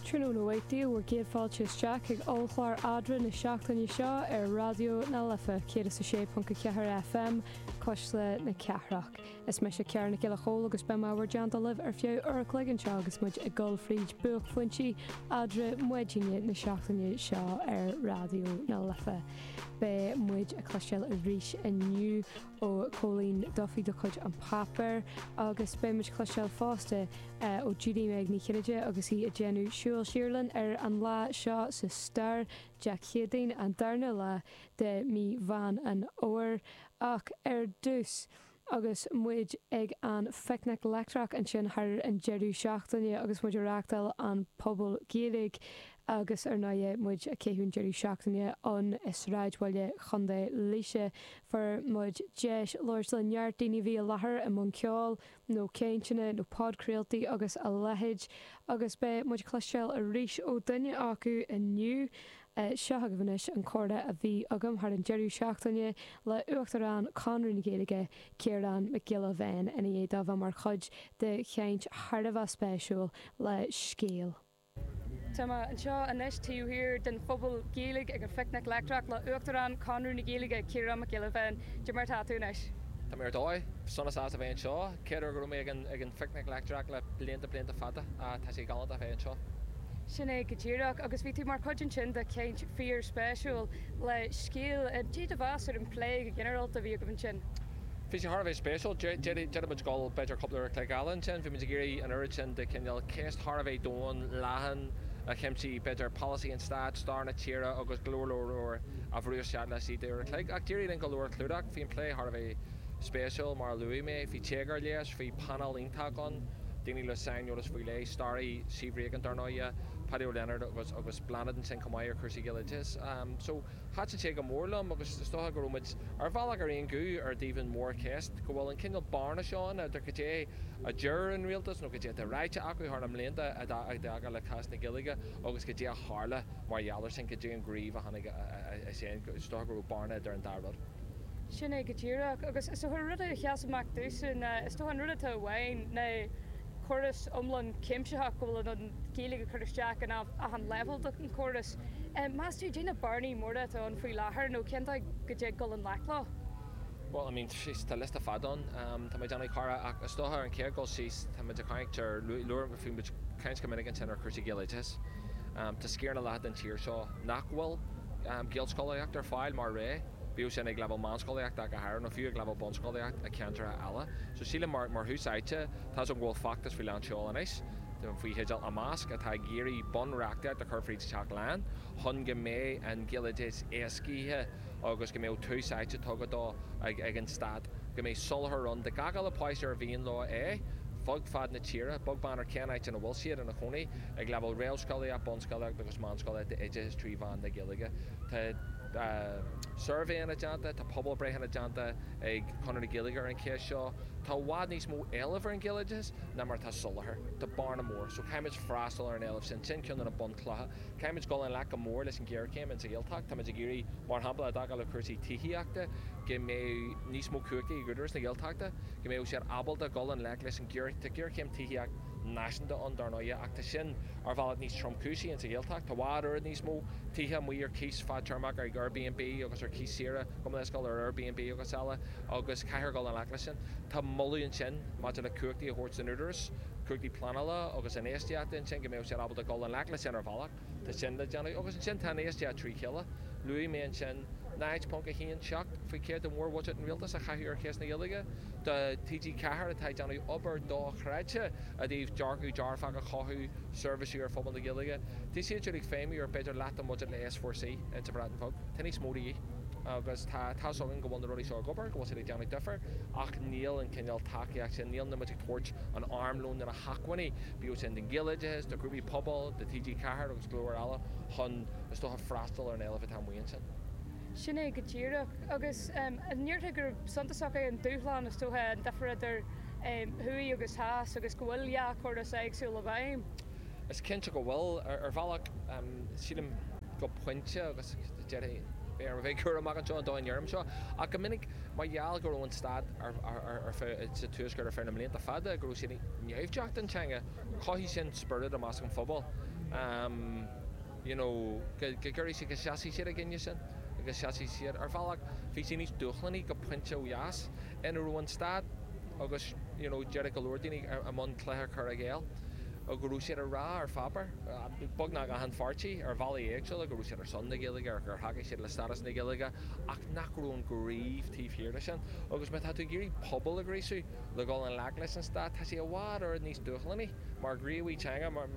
Tráthnóna maith daoibh, bhur gcéad fáilte isteach chuig ollchlár Adhmhaidin na seachtaine seo ar Raidió na Life 106.4 FM, Cuisle na Cathrach. Is mise Ciara Nic Giolla Chomhaill agus beidh mé i bhur dteannta libh ar feadh uair a chloig anseo agus muid ag dul fríd buaicphointí Eadra maidine na seachtaine seo ar Raidió na Life. Beidh muid ag cloisteáil arís inniu. ó Cóilín Duffy de chuid An Páipéar agus beidh muid ag cloisteáil fosta ó Judy Meg Ní Chinnéide agus í ag déanamh siúl siar linn ar an lá seo sa stair, Dé Céadaoin, an darna lá de mí Mheán an Fhómhair. Ach ar dtús, agus muid ag an Phicnic Leictreach ansin thar an deireadh seachtaine agus muid ag reáchtáil an Phuball Gaeilge, Agus ar ndóighe, muid a' caitheamh deireadh seachtaine ann i sráidbhaile Chontae Laoise, fuair muid deis labhairt le neart daoine a bhí i láthair i mbun ceoil nó cainteanna nó podchraoltaí agus a leithéid, agus beidh muid a' cloisteáil arís ó dhuine acu inniu. Seo agaibh anois an comhrá a bhí agam thar an deireadh seachtaine le Uachtarán Chonradh na Gaeilge, Ciarán Mac Giolla Bhéin, ina dhiaidh dó bheith mar chuid de chaint thar a bheith spéisiúil le Scéal. Tá mé anseo anois taobh thiar den phuball Gaeilge ag an Phicnic Leictreach le Uachtarán Chonradh na Gaeilge, Ciarán Mac Giolla Bhéin. Cad é mar atá tú anois? Tá mé ar dóigh. Sonas as a bheith anseo. Chéad uair go raibh mé ag an Phicnic Leictreach le blianta blianta fada. Tá sé galánta a bheith anseo. Sin é go díreach. Agus bhí tú mar chuid ansin de chaint fíor spéisiúil le Scéal. Cad é do mheas ar an plé go ginearálta a bhí agaibh ansin? Bhí sé thar a bheith spéisiúil. D'fhéadfadh muid dul b'fhéidir cúpla uair an chloig eile ansin. Bhí muid ag iarraidh an oiread sin de chineál ceist thar a bheith domhain, leathan a chuimsíonn b'fhéidir polasaí an stáit, stair na tíre agus go leor leor eile a bhrú isteach leis an uair an chloig. Ach d'éirigh linn go leor a chlúdach. Bhí an plé thar a bheith spéisiúil mar a luaigh mé. Bhí téagar leis. Bhí painéal iontach ann, daoine le saineolas faoi leith, staraí, Siobhra Aiken dar ndóighe, Páidí Ó Lionáird agus agus Bláthnaid ansin chomh maith ar chúrsaí Ghaeloideachais. So. Thaitin sé go mór liom agus is dócha go raibh muid ar bhealach ar aon ghuth i dtaobh an mhórcheist, go bhfuil an cineál bearna seo ann idir cad é a deir an rialtas nó cad é atá ráite acu thar na mblianta i dtaca le cás na Gaeilge agus cad é a tharla mar gheall ar sin, cad é an gníomh a tháinig as sin. Is dócha go raibh bearna idir an dá rud. Sin é go díreach. Agus is dócha rud a sheas amach domhsa ná, is dócha an rud atá i bhfeidhm ná córas iomlán cuimsitheach go bhfuil an Ghaeilge ag cur isteach in achan leibhéal den chóras. Meas tú, cad é na bearnaí móra atá ann faoi láthair nó cén áit go dtig dul i ngleic leo? Bhuel, I mean, jeez, tá liosta fada ann. Tá mé ag déanamh, a Chiara, ach is dócha ar an chéad dul síos tá muid ag caint ar, labhair muid, caint go minic ansin ar chúrsaí Gaeloideachais. Tá sciar nó leath den tír seo nach bhfuil Gaelscolaíocht ar fáil mar rogha, bíodh sin ag leibhéal meánscolaíochta ach go háirithe nó fiú ag leibhéal bunscolaíocht i gceantracha eile. So sílim mar thús áite, tá 's agam go bhfuil feachtas faoi lánseol anois, den faoi theideal Imeasc atá ag iarraidh bunreachtaíocht a chur fríd Teach Laighean chun go mbeidh an Ghaeloideas éascaithe agus go mbeadh tús áite tugtha dó ag an Stát, go mbeidh soláthar ann do gach uile páiste ar mhian leo é, fud fad na tíre, beag beann ar cén áit ina bhfuil siad ina gcónaí, ag leibhéal réamhscolaíocht, bunscolaíocht agus meánscolaíocht d'oideachas trí mheán na Gaeilge. Tá suirbhéanna déanta, tá pobalbhreitheanna déanta ag Conradh na Gaeilge ar an cheist seo. Tá i bhfad níos mó éilimh ar an Ghaeloideas. ná mar atá soláthar. Tá bearna mór, so caithfimid freastal ar an éileamh sin, sin ceann de na bunchlocha. Caithfimid dul i ngleic go mór leis an ghéarchéim ins sa Ghaeltacht. Táimid ag iarraidh, mar shampla, i dtaca le cúrsaí tithíochta, go mbeadh níos mó cumhachta ag Údarás na Gaeltachta, go mbeadh siad ábalta dhul i ngleic leis an ghéarchéim. Tá géarchéim tithíocht náisiúnta ann, dar ndóighe, ach tá sin ar bhealach níos tromchúisí ins sa Ghaeltacht. Tá i bhfad oiread níos mó tithe amuigh ar cíos fadtéarmach, ar Airbnb agus ar cíos saoire, gabh mo leithscéal, ar Airbnb agus eile, agus caithfear dhul i ngleic leis sin. Tá moladh ansin. Maidir le cumhachtaí a thabhairt don Údarás, cumhachtaí pleanála agus infheistíochta, ansin go mbeadh siad ábalta dul i ngleic leis sin ar bhealach, tá sin le déanamh agus ansin tá infheistíocht trí chéile. Luaigh mé ansin 0.17 faoin chéad de mhórbhuiséad an Rialtais a chaitheamh ar cheist na Gaeilge do TG4 atá ag déanamh obair dochreidte i dtaobh dearcadh dearfach a chothú, seirbhísí ar phobal na Gaeilge. Tá siad siúd ag feidhmiú ar b'fhéidir leath den bhuiséad le S4C sa Bhreatain Bheag. Tá níos mó de dhíth. agus tá áthas orainn go bhfuil na rudaí seo ag obair, go bhfuil siad ag déanamh difir, ach níl an cineál tacaíocht sin, níl muid ag tabhairt an armlóin nó na hacmhainní, bíodh sin don Ghaeloideachas, do ghrúpaí pobail, do TG4 agus go leor eile, chun, is dócha, freastal ar an éileamh atá amuigh ansin. Sin é go díreach, agus an ndéarfá gur suntasach é an dúshlán, is dócha, an difir idir thuaidh agus theas agus go bhfuil dhá chóras éagsúil i bhfeidhm? Is cinnte go bhfuil, ar bhealach, sílim, go pointe agus, Caithfidh mé a bheith cúramach anseo dóigh a ndeirim seo, ach go minic mar gheall go raibh an stát i bhfeidhm sa Tuaisceart ar feadh na mblianta fada, go raibh siad naimhdeach don teanga, chothaigh sin spiorad i measc an phobail you know go gcuirfidh siad, go seasfaidh siad i gcoinne sin agus sheasaigh siad. Ar bhealach bhí sé níos dúshlánaí go pointe ó dheas ina raibh an stát agus you know déarfadh go leor daoine i mbun cluiche cur i gcéill go raibh siad ag rá ar pháipéar, beagnach achan pháirtí ar bhealaí éagsúla go raibh siad. ar son na Gaeilge ach gur thacaigh siad le stádas na Gaeilge ach nach raibh an gníomh taobh thiar de sin. Agus má tá tú ag iarraidh pobal a ghríosú le dhul i ngleic leis an stát, tá sé i bhfad oiread níos dúshlánaí mar ghníomhaí teanga, mar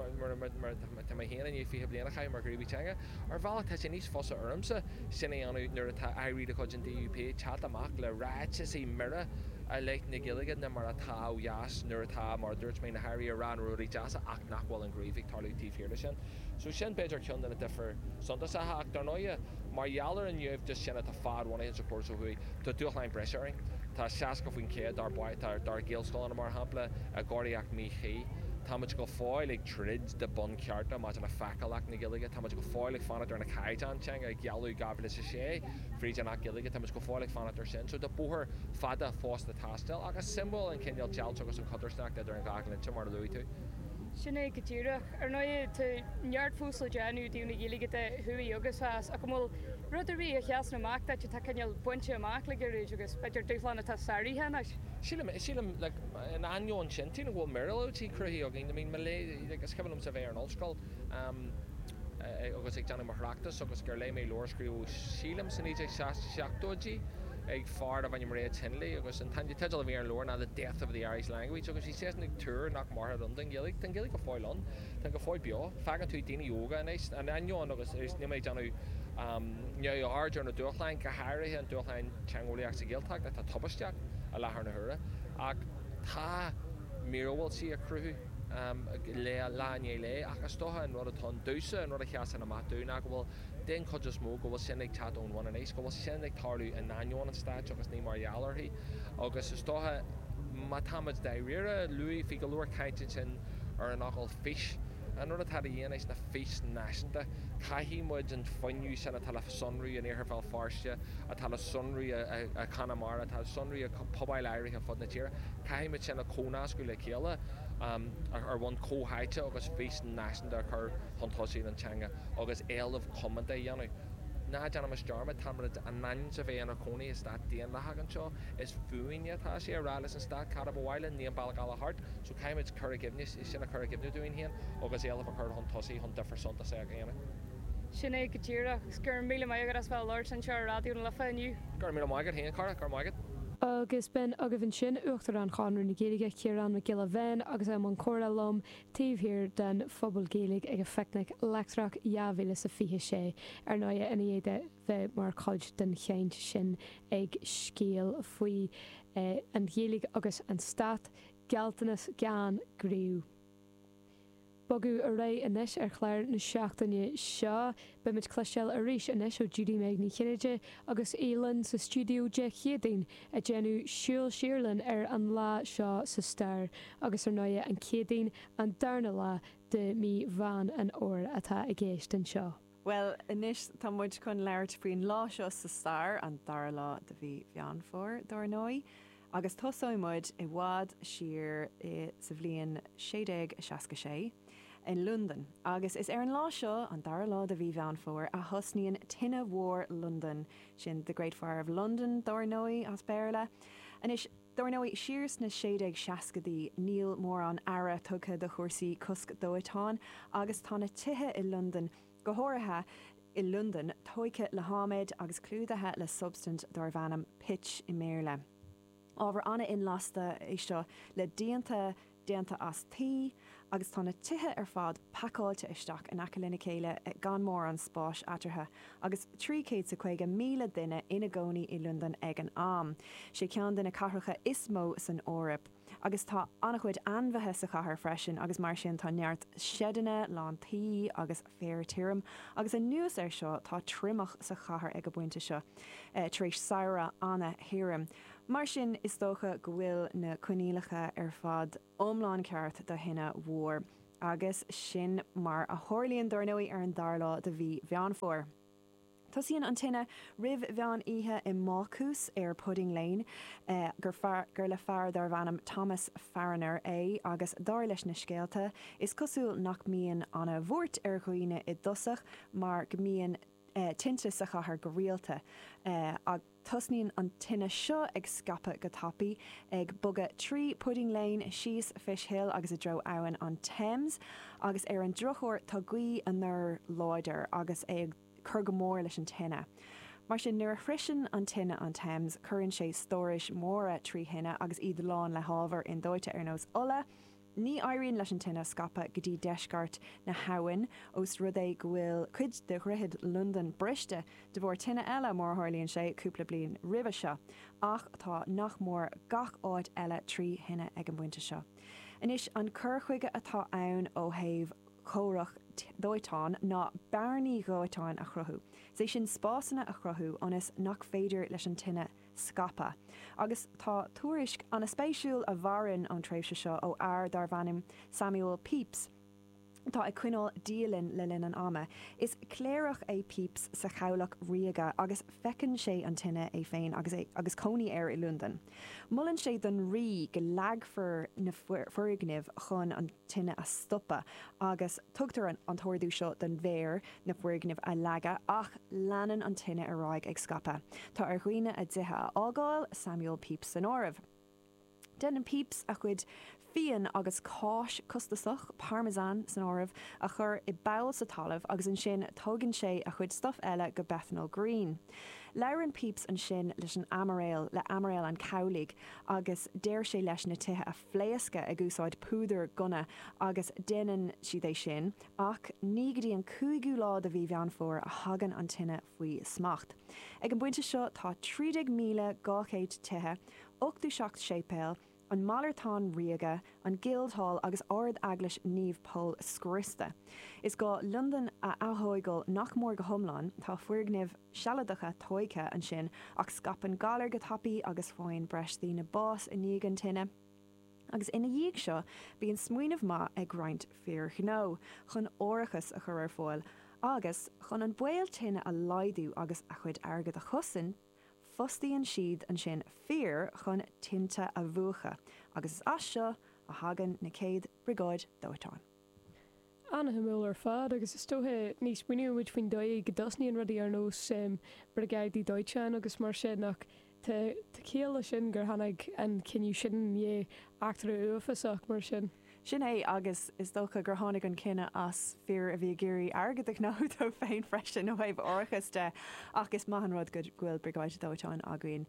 tá mé féin i ndiaidh 20 bliain a chaitheamh mar ghníomhaí teanga. Ar bhealach tá sé níos fusa ormsa sin a dhéanamh nuair atá airí de chuid an DUP ag teacht amach le ráiteas mire i leith na Gaeilge ná mar atá ó dheas nuair atá, mar a dúirt mé, na hairí ag rá na rudaí deasa ach nach bhfuil an gníomh ag tarlú taobh thiar de sin. So sin b'fhéidir ceann de na difir suntasacha ach dar ndóighe mar gheall ar an naimhdeas sin atá fad-bhunaithe sa chóras ó thuaidh, tá dúshláin breise orainn. Tá 60% dár bpáistí, dár, dár nGaelscoileanna mar shampla, i gcóiríocht mhíchuí. Táimid go fóill ag troid do bhunchearta maidir le feiceálacht na Gaeilge. Táimid go fóill ag fanacht ar na caighdeáin teanga a gealladh i 2006 fríd an Acht Gaeilge. Táimid go fóill ag fanacht ar sin. So tá bóthar fada fós le taisteal ach is suimiúil an cineál deighilt agus an chodarsnacht idir an dhá dhlínse mar a luaigh tú. Sin é go díreach. Ar ndóigh, tá neart fós le déanamh do na Gaeilgeoirí thuaidh agus theas, ach an bhfuil rud ar bith a sheasann amach duit atá cineál bainte amach le gairid agus, b'fhéidir, dúshlán atá sáraithe anois? Sílim, sílim, like, in ainneoin sin, tuigim go bhfuil míorúiltí cruthaithe againn, I mean, mo léir, like, is cuimhin liomsa a bheith ar an ollscoil, em, eh, agus ag déanamh mo thráchtas agus gur léigh mé leabhar a scríobhadh, sílim, sna naoi déag seas, seachtóidí ag fear darbh ainm Reg Hindley agus an t-an teideal a bhí ar an leabhar ná The Death of the Irish Language agus, Eisean ag tuar nach mairfeadh an Ghaeilge. Tá an Ghaeilge go fóill ann. Tá sí go fóill beo. Faigheann tú daoine óga anois, in ainneoin agus níl mé ag déanamh neamhaird ar na dúshláin, go háirithe an dúshlán teangeolaíoch sa Ghaeltacht atá tubaisteach i láthair na huaire, ach tá míorúiltí ag cruthú lá i ndiaidh lae. Ach is dócha an rud atá ann domhsa, an rud a sheasann amach domh ná go bhfuil, den chuid is mó, go bhfuil sin ag teacht ón bhun aníos, go bhfuil sin ag tarlú in ainneoin an stáit agus ní mar gheall uirthi. agus is dócha má táimid dáiríre, luaigh muid go leor caint ansin ar an fhocal 'fís'. An rud atá de dhíth anois ná fís náisiúnta. Caithfidh muid an fuinneamh sin atá le sonrú in Iarthar Bhéal Feirste, atá le sonrú i Conamara, atá le sonrú i pobail áirithe ar fud na tíre, caithfidh muid sin a chomhnascadh le chéile ar bhonn comhtháite agus fís náisiúnta a chur chun tosaigh don teanga agus éileamh comónta a dhéanamh. Ná déanaimis dearmad, táimid in ainm is a bheith inár gcónaí i stát daonlathach anseo. Is fúinne atá sé a rá leis an stát cad a ba mhaith linn, ní an bealach eile thart. So caithfimid cur i gcuimhne, sin a chur i gcuimhne dúinn féin agus éilimh a chur chun tosaigh chun difear suntasach a dhéanamh. Sin é go díreach. Go raibh míle maith agat as bheith ag labhairt anseo ar Raidió na Life inniu. Go raibh míle maith agat féin, a chara. Go raibh maith agat. Agus b'in agaibh ansin, Uachtarán Chonradh na Gaeilge, Ciarán Mac Giolla Bhéin, agus é i mbun comhrá liom, taobh thiar den Phuball Gaeilge ag an Phicnic Leictreach 2026, ar ndóighe, i ndiaidh dó a bheith mar chuid den chaint sin ag Seal faoi An Ghaeilge agus an Stát, Gealltanas Gan Gníomh. Ag bogadh ar aghaidh anois ar chlár na seachtaine seo. Beimid ag cloisteáil arís anois ó Judy-Meg Ní Chinnéide agus í linn sa stiúideo Dé Céadaoin ag déanamh súil siar linn ar an lá seo sa stair agus ar ndóighe an Céadaoin an darna lá de mhí Mheán an Fhómhair atá i gceist anseo. Bhuel anois tá muid chun labhairt faoin lá seo sa stair, an dara lá de mhí Mheán Fómhair dar ndóigh. agus tosóidh muid i bhfad siar sa bhliain 1666 i Londain agus is ar an lá seo, an dara lá de mhí Mheán Fómhair, a thosnaíonn Tine Mhór Londain, sin The Great Fire of London dar ndóigh as Béarla. Anois, dar ndóigh, siar sna sé déag seascaidí níl mórán aire tugtha do chúrsaí cosc dóiteáin agus tá na tithe i Londain, go háirithe i Londain, tógtha le hadhmad agus clúdaithe le substaint darbh ainm 'pitch' i mBéarla. Ábhar an-inlasta é seo le díonta déanta as tuí agus tá na tithe ar fad pacáilte isteach in aice lena chéile gan mórán spáis eatarthu. Agus 350,000 duine ina gcónaí i Londain ag an am, is é ceann de na cathracha is mó san Eoraip. Agus tá an-chuid ainmhithe sa chathair freisin agus mar sin tá neart seideanna lán tuí agus féar tirim. Agus anuas ar seo tá triomach sa chathair ag an bpointe seo tar éis samhradh an-thirim. Mar sin is dócha go bhfuil na coinníollacha ar fad iomlán ceart do thine mhór. Agus sin mar a tharlaíonn, dar ndóigh, ar an dara lá de mhí Mheán Fómhair. Tosaíonn an tine roimh mheán oíche i mbácús ar Pudding Lane gur le fear darbh ainm Thomas Farriner é agus dar leis na scéalta, is cosúil nach mbíonn an-bhuairt ar dhaoine i dtosach mar go mbíonn tinte sa chathair go rialta. Ach tosaíonn an tine seo ag scaipeadh go tapaidh, ag bogadh trí Pudding Lane, síos Fish Hill agus i dtreo abhainn an Thames agus ar an drochuair tá gaoth anoir láidir agus é ag. cur go mór leis an tine. Mar sin, nuair a shroicheann an tine an Thames, cuireann sé stórais mhóra trí thine agus iad lán le hábhair indóite ar nós ola. Ní éiríonn leis an tine scaipeadh go dtí deisceart na habhann, ós rud é go bhfuil cuid de Dhroichead Londain briste de bharr tine eile, mar a tharlaíonn sé, cúpla bliain roimhe seo. Ach tá nach mór gach áit eile trí thine ag an bpointe seo. Anois, an cur chuige atá ann ó thaobh. comhrac dóiteáin ná bearnaí dóiteáin a chruthú, is é sin spásanna a chruthú ionas nach féidir leis an tine scaipeadh. Agus tá tuairisc an-spéisiúil a mhaireann ón tréimhse seo ó fhear darbh ainm Samuel Pepys atá ag coinneáil dialann le linn an ama. Is cléireach é Pepys sa Chabhlach Ríoga agus feiceann sé an tine é féin agus cónaí air i Londain. Molann sé don Rí go leagfar na foirgnimh chun an. tine a stopadh agus tugtar an an t-ordú seo don mhéar na foirgnimh a leagadh ach leanann an tine ar aghaidh ag scaipeadh. Tá ar dhaoine a dtithe a fhágáil, Samuel Pepys san áireamh. Déanann Pepys a chuid fíon agus cáis costasach, Parmesan san áireamh, a chur i bpoll sa talamh agus ansin tógann sé a chuid stuif eile go Bethnal Green. Labhrann Pepys ansin leis an Aimiréal, le Aimiréal an Chabhlaigh agus deir sé leis na tithe a phléascadh ag úsáid púdar gunna agus déanann siad é sin ach ní go dtí an cúigiú lá de mhí Mheán Fómhair a thagann an tine faoi smacht. Ag an bpointe seo tá 13,200 tithe, ochtú seacht séipéal, an Malartán Ríoga, an Guildhall agus Ard-Eaglais Naomh Pól scriosta. Is gá Londain a atóigeáil nach mór go hiomlán, tá foirgnimh. sealadacha tóigthe ansin ach scaipeann galar go tapaidh agus faigheann breis daoine bás i ndiaidh an tine agus ina dhiaidh seo bíonn smaoineamh maith ag roinnt fir ghnó chun árachas a chur ar fáil agus, chun an baol tine a laghdú agus a chuid airgead a chosaint, fostaíonn siad ansin fir chun tinte a mhúchadh agus is as seo a thagann na chéad briogáid dóiteáin. An-shuimiúil ar fad, agus is dócha ní smaoiníonn muid faoin dóigh go dtosnaíonn rudaí ar nós briogáidí dóiteáin agus mar sin ach tá ciall leis sin gur tháinig an cinneadh sin i ndiaidh eachtra uafásach mar sin. Sin é, agus is dócha gur tháinig an cinneadh as fir a bhí ag iarraidh airgead a ghnóthú dóibh féin freisin ó thaobh árachas de ach is maith an rud go bhfuil Briogáid Dóiteáin againn.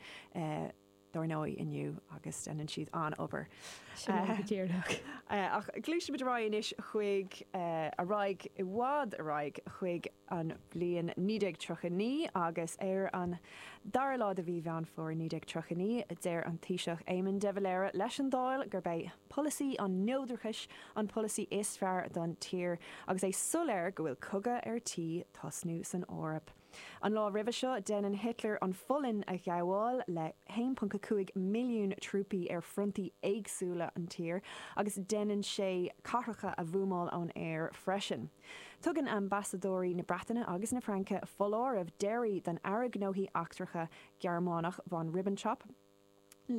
dár ndóigh, inniu agus déanann siad an-obair. Sin é go díreach. Ach gluaisimid ar aghaidh anois chuig, ar aghaidh, i bhfad ar aghaidh chuig an bhliain 1939 agus ar an dara lá de mhí Mheán Fómhair 1939, deir an Taoiseach Éamon de Valera leis an Dáil gurb é polasaí an neodrachais an polasaí is fearr don tír agus é soiléir go bhfuil cogadh ar tí tosnú san Eoraip. An lá roimhe seo, déanann Hitler an Pholainn a ghabháil le 1.5 milliún trúpaí ar fhrontaí éagsúla an tír, agus déanann sé cathracha a bhuamáil ón aer freisin. Tugann ambasadóirí na Breataine agus na Fraince foláireamh deiridh don Aire Gnóthaí Eachtracha Gearmánach, von Ribbentrop,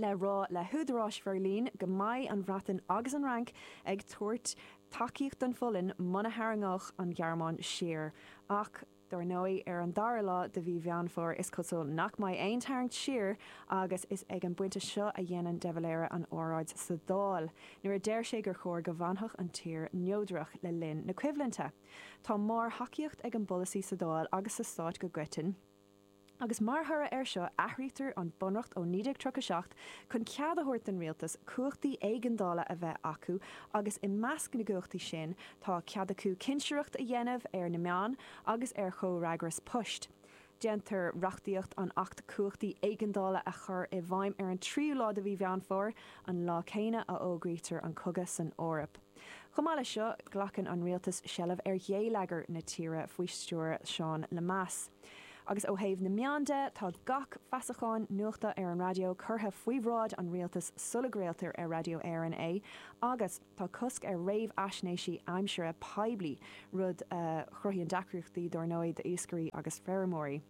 le rá le húdaráis Bheirlín go mbeidh an Bhreatain agus an Fhrainc ag tabhairt tacaíocht don Pholainn muna tharraingeodh an Ghearmáin siar. Ach dár ndóigh, ar an dara lá de mhí Mheán Fómhair is cosúil nach mbeidh aon tarraingt siar agus is ag an bpointe seo a dhéanann de Valera an óráid sa Dáil nuair a deir sé gur chóir go bhfanfadh an tír neodrach le linn na coimhlinte. Tá mór-thacaíocht ag an bpolasaí sa Dáil agus sa Stát go coiteann. agus mar thoradh air seo athraítear an bunreacht ó 1937 chun cead a thabhairt don rialtas cumhachtaí éigeandála a bheith acu agus i measc na gcumhachtaí sin tá cead acu cinsireacht a dhéanamh ar na meáin agus ar chomhfhreagras poist. Déantar reachtaíocht an Acht Cumhachtaí Éigeandála a chur i bhfeidhm ar an tríú lá de mhí Mheán Fómhair, an lá céanna a fhógraítear an cogadh san Eoraip. Chomh maith leis seo, glacann an rialtas seilbh ar ghéilleagar na tíre faoi stiúir Seán Lemass. Agus ó thaobh na meán de, tá gach feasachán nuachta ar an raidió curtha faoi bhráid an rialtais sula gcraoltar ar Radio Éireann é agus tá cosc ar réamhaisnéisí aimsire poiblí, rud a chruthaíonn deacrachtaí dar ndóigh d'iascairí agus feirmeoirí.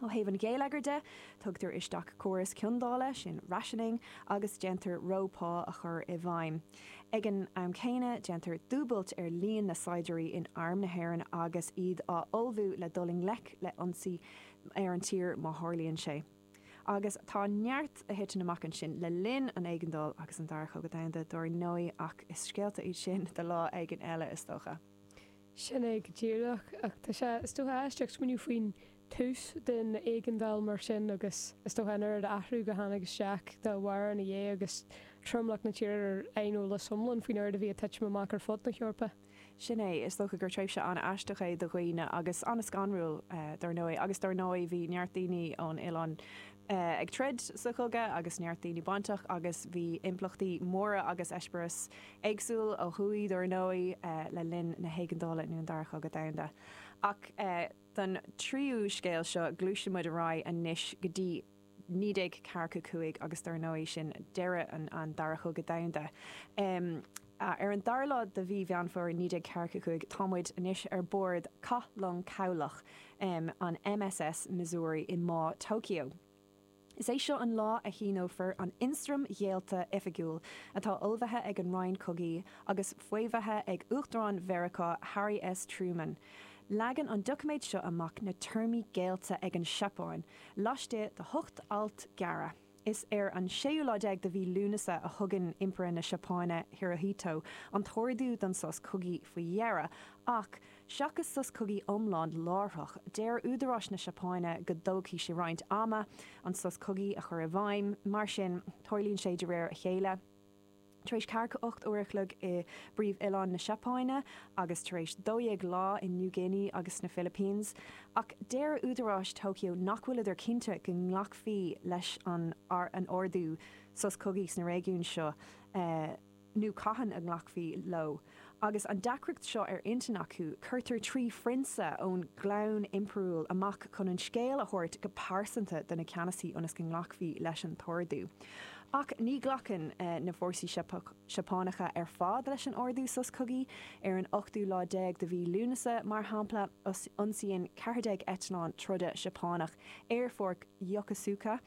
Ó thaobh an gheilleagair de, tugtar isteach córas ciondála, sin rationing, agus déantar reo pá a chur i bhfeidhm. Ag an am céanna, déantar dúbailt ar líon na saighdiúirí in Arm na hÉireann agus iad á ullmhú le dul i ngleic le ionsaí ar an tír má tharlaíonn sé. Agus tá neart a thiteann amach ansin le linn an éigeandáil agus an Dara Chogadh Domhanda dar ndóigh ach is scéalta iad sin do lá éigin eile is dócha. Sin é go díreach. Ach tá sé, is dócha, aisteach smaoineamh faoin tús den éigeandáil mar sin agus is dócha an oiread athrú a tháinig isteach dá bharr ina dhiaidh agus tromlach na tíre ar aineolas iomlán faoin oiread a bhí ag titim amach ar fud na hEorpa. Sin é. Is dócha gur tréimhse an-aisteach é do dhaoine agus an-scanrúil, dar ndóigh. Agus dar ndóigh bhí neart daoine ón oileán, ag troid sa chogadh agus neart daoine bainteach agus bhí impleachtaí móra agus eispéireas éagsúil ó thuaidh dar ndóigh le linn na hÉigeandála nó an Dara Chogadh Domhanda. Ach don tríú scéal seo gluaiseann muid ar aghaidh anois go dtí 1945 agus dar ndóigh sin deireadh an Dara Chogadh Domhanda. Ar an dara lá de mhí Mheán Fómhair 1945, tá muid anois ar bord cathlong cabhlach, an MSS Missouri, i mBá Tokyo. Is é seo an lá a shíneofar an Ionstraim Ghéillte oifigiúil, atá ullmhaithe ag an Roinn Cogaidh agus faomhaithe ag Uachtarán Mheiriceá, Harry S. Truman. Leagann an doiciméad seo amach na téarmaí géillte ag an Seapáin, laistigh de hocht alt gearra. Is ar an séú lá déag de mhí Lúnasa a thugann Impire na Seapáine, Hirohito, an t-ordú don sos cogaidh faoi dheireadh. Ach, seachas sos cogaidh iomlán láithreach, deir údaráis na Seapáine go dtógfaidh sé roinnt ama an sos cogaidh a chur i bhfeidhm, mar sin, tarlaíonn sé de réir a chéile. Tar éis ceathracha ocht uair a chloig i bpríomh-oileán na Seapáine agus tar éis dó dhéag lá i New Guinea agus sna Philippines, ach deir údaráis Tokyo nach bhfuileadar cinnte go nglacfaí leis an an ordú sos cogaidh sna réigiúin seo nó cathain a nglacfaí leo. Agus an deacracht seo ar intinn acu, cuirtear trí phrionsa ón gclann impiriúil amach chun an scéal a thabhairt go pearsanta do na ceannasaithe ionas go nglacfaí leis an t-ordú. Ach ní ghlacann na fórsaí Seapánacha ar fad leis an ordú sos cogaidh. Ar an ochtú lá déag de Mhí Lúnasa, mar shampla, ionsaíonn ceathair déag eitleán troda Seapánach aerfort Yokosuka.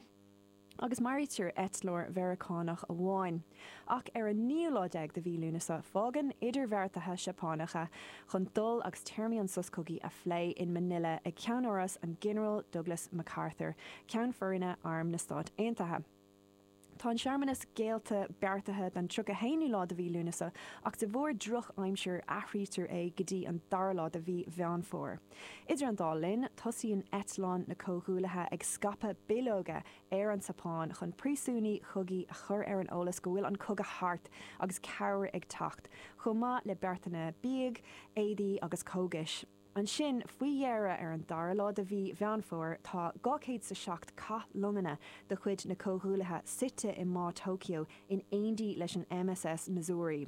agus maraítear eitleoir Mheiriceánach amháin. Ach ar an naoú lá déag de mhí Lúnasa fágann idirbheartaithe Seapánacha chun dul agus téarmaí an sos cogaidh a phlé in Manila ag ceannáras an Ghinearáil Douglas MacArthur, Ceann Foirne Arm na Stát Aontaithe. Tá an searmanas géillte beartaithe don tríocha haonú lá de mhí Lúnasa ach de bharr drochaimsir athraítear é go dtí an dara lá de mhí Mheán Fómhair. Idir an dá linn, tosaíonn eitleáin na Comhghuaillithe ag scaipeadh bileoga ar an tSeapáin chun príosúnaigh chogaidh a chur ar an eolas go bhfuil an cogadh thart agus cabhair ag teacht, chomh maith le beartanna bídh, éadaí agus cógais. Ansin, faoi dheireadh, ar an dara lá de Mhí Mheán Fómhair, tá 207 cath longanna de chuid na Comhghuaillithe suite i mBá Tokyo in éindí leis an MSS Missouri.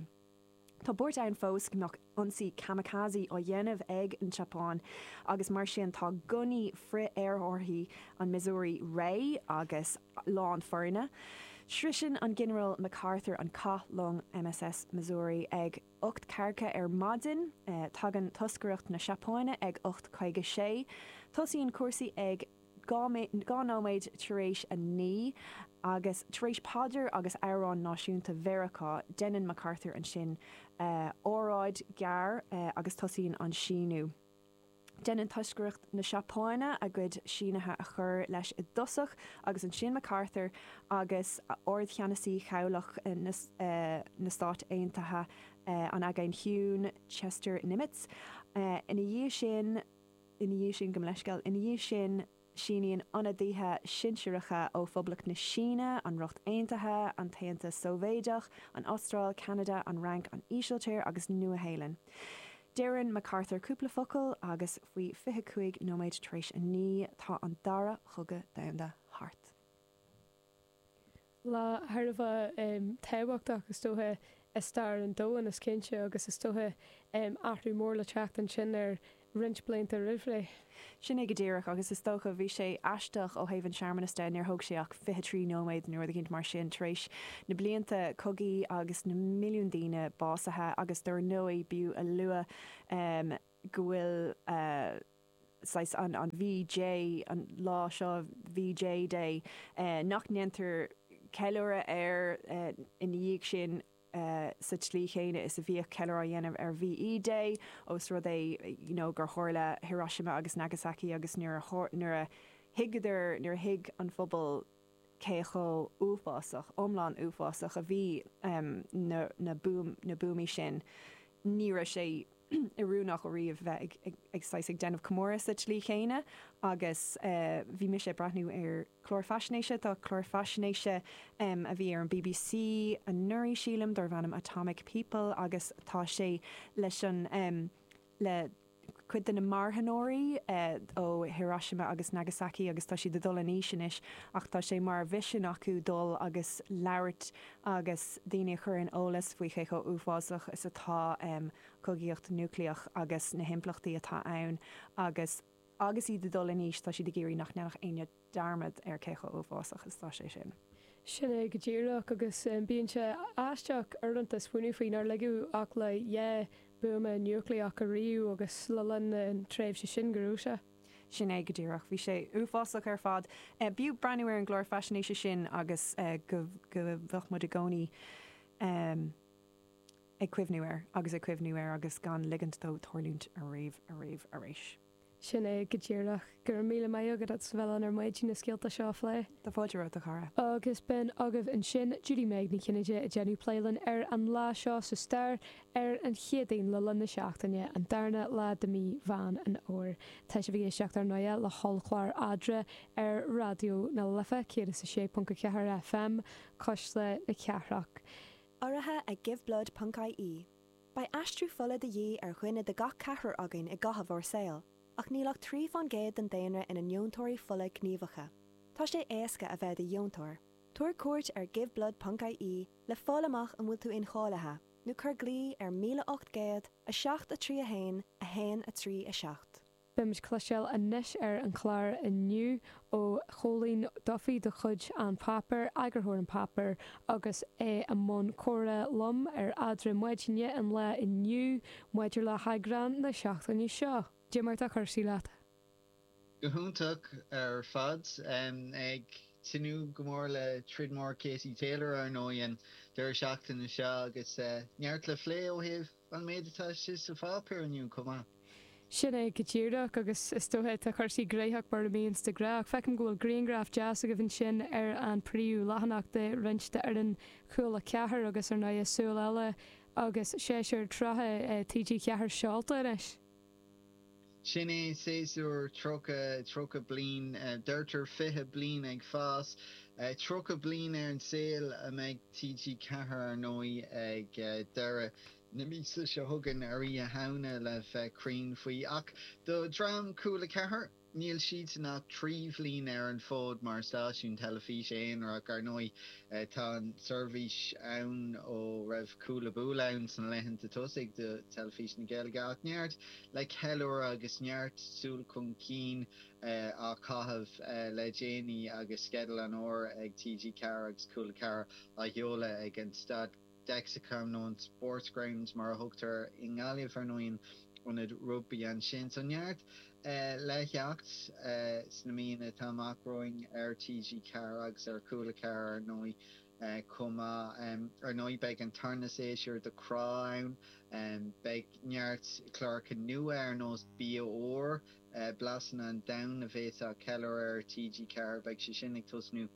Tá buairt ann fós nach ionsaí kamikaze á dhéanamh ag an tSeapáin agus mar sin tá gunnaí frith-aerárthaí an Missouri réidh agus lán foirne. Sroiseann an Ginearál MacArthur an cath long MSS Missouri ag 8:40 ar maidin. Tagann toscaireacht na Seapáine ag 8:56. Tosaíonn cúrsaí ag. Dhá nóiméad tar éis a naoi agus tar éis paidir agus amhrán náisiúnta Mheiriceá, deineann MacArthur ansin óráid ghearr agus tosaíonn an síniú. Deineann toscaireacht na Seapáine a gcuid sínithe a chur leis i dtosach agus ansin MacArthur agus Ardcheannasaí Chabhlach na Stát Aontaithe an Aigéin Chiúin, Chester Nimitz. Ina dhiaidh sin. Ina dhiaidh sin, gabh mo leithscéal, ina dhiaidh sin síníonn ionadaithe sinsearacha ó Phoblacht na Síne, an Ríocht Aontaithe, an tAontas Sóivéideach, an Astráil, Ceanada, an Fhrainc, an Ísiltír agus Nua-Shéalainn. Deireann MacArthur cúpla focal agus faoi fiche cúig nóiméad tar éis a naoi tá an dara cogadh domhanda thart. lá thar a bheith tábhachtach is dócha i stair an domhain is cinnte agus is dócha athrú mór le teacht ansin ar roinnt blianta roimhré. Sin é go díreach agus is dócha bhí sé aisteach ó thaobh an searmanas de, níor thóg sé ach fiche trí nóiméad nó rud éigint mar sin tar éis na blianta cogaidh agus na milliúin daoine básaithe agus dar ndóigh b'fhiú a lua go bhfuil saghas an VJ an lá seo VJ Day nach ndéantar ceiliúradh air ina dhiaidh sin sa tslí chéanna is a bhíodh ceiliúradh á dhéanamh ar VE Day os rud é you know gur tharla Hiroshima agus Nagasaki agus nuair a thuigeadar nuair a thuig an phobal cé chomh uafásach, iomlán uafásach a bhí na na buamaí sin, ní raibh sé oiriúnach ariamh bheith ag ag saghas ag déanamh comóradh sa tslí chéanna agus bhí mise ag breathnú ar clár faisnéise, tá clár faisnéise a bhí ar an bbc anuraidh sílim, darbh ainm Atomic People agus tá sé leis an. le cuid de na marthanóirí ó Hiroshima agus Nagasaki agus tá siad ag dul in aois anois ach tá sé mar mhisean acu dul agus labhairt agus daoine a chur in eolas faoi cé chomh uafásach is atá cogaíocht núicléach agus na himpleachtaí atá ann agus agus iad ag dul in aois tá siad ag iarraidh nach ndéanfadh éinne dearmad ar cé chomh uafásach is atá sé sin. Sin é go díreach agus bíonn sé aisteach uaireanta smaoineamh faoi nár ligeadh ach le dhá buama núicléach ariamh agus le linn na tréimhse sin go raibh sé. Sin é go díreach. Bhí sé uafásach ar fad. B'fhiú breathnú ar an gclár faisnéise sin agus go bheadh muid i gcónaí ag cuimhniú air agus ag cuimhniú air agus gan ligint dó tárlúint ariamh, ariamh, arís. Sin é go díreach. Go raibh míle maith agat as a bheith linn ar maidin leis na scéalta seo a phlé. Tá fáilte romhat, a chara. Agus b'in agaibh ansin, Judy-Meg Ní Chinnéide, ag déanamh plé linn ar an lá seo sa stair, ar an Chéadaoin le linn na seachtaine, an darna lá de mhí Mheán an Fhómhair. Tá sibh ag éisteacht, ar ndóigh, le hollchlár EADRA ar Raidió na Life, 106.4 FM, Cuisle na Cathrach. Urraithe ag Give Blood ponc ie Beidh aistriú fola de dhíth ar dhuine de gach ceathrar againn i gcaitheamh ár saoil, ach níl ach trí faoin gcéad den daonra ina ndeontóirí fola gníomhacha. Tá sé éasca a bheith i do dheontóir. Tabhair cuairt ar giveblood.ie le fáil amach an bhfuil tú incháilithe, nó cuir glao ar 1800 7 3 1 1 3 7. Beimid ag cloisteáil anois ar an chlár inniu ó Chóilín Duffy de chuid An Páipéar, eagarthóir An Páipéar agus é i mbun comhrá liom ar eadra maidine an lae inniu maidir le heagrán na seachtaine seo cad é mar atá Cúrsaí Leat. Go hiontach ar fad. Ag tnúth go mór le troid mhór Katie Taylor, ar ndóigh, an deireadh seachtaine seo agus neart le phlé ó thaobh. an méid atá istigh sa pháipéar inniu chomh maith. Sin é go díreach, agus is dóiche tá cúrsaí gnóthach mar a bhíonns de ghnáth, ach feicim go bhfuil griangraf deas agaibh ansin ar an príomhleathanach de roinnt de fhoireann Cúla ceathair agus ar ndóigh súil eile agus séasúr trátha TG4 seolta anois. Sin é séasúr 30, tríocha bliain, deirtear fiche bliain ag fás, tríocha bliain ar an saol a bheidh TG4 ar ndóigh ag deireadh na míosa seo chugainn, ar Oíche Shamhna le bheith cruinn faoi. Ach do dhream Cúla 4? Níl siadsan ach trí bhliain ar an fód mar stáisiún teilifíse aonarach, ar ndóigh tá an tseirbhís ann ó raibh Cúlabúla ann sna laethanta tosaigh de Theilifís na Gaeilge ach neart le ceiliúradh agus neart súil chun cinn le caitheamh le déanaí agus sceideal an fhómhair ag TG4 agus Cúla 4 á sheoladh ag an Staid Dexcom nó an Sportsground mar a thugtar air i nGaillimh ar ndóigh, ionad rugbaí ansin. So neart le theacht sna míonna atá amach romhainn ar TG4 agus ar Cúla 4 ar ndóigh chomh maith. Ar ndóigh beidh an tarna séasúr de Crá ann. Beidh neart cláracha nua ar nós Bia Úr, Blasanna an Domhain a bheas á ceiliúradh ar TG4, beidh sé sin ag tosnú.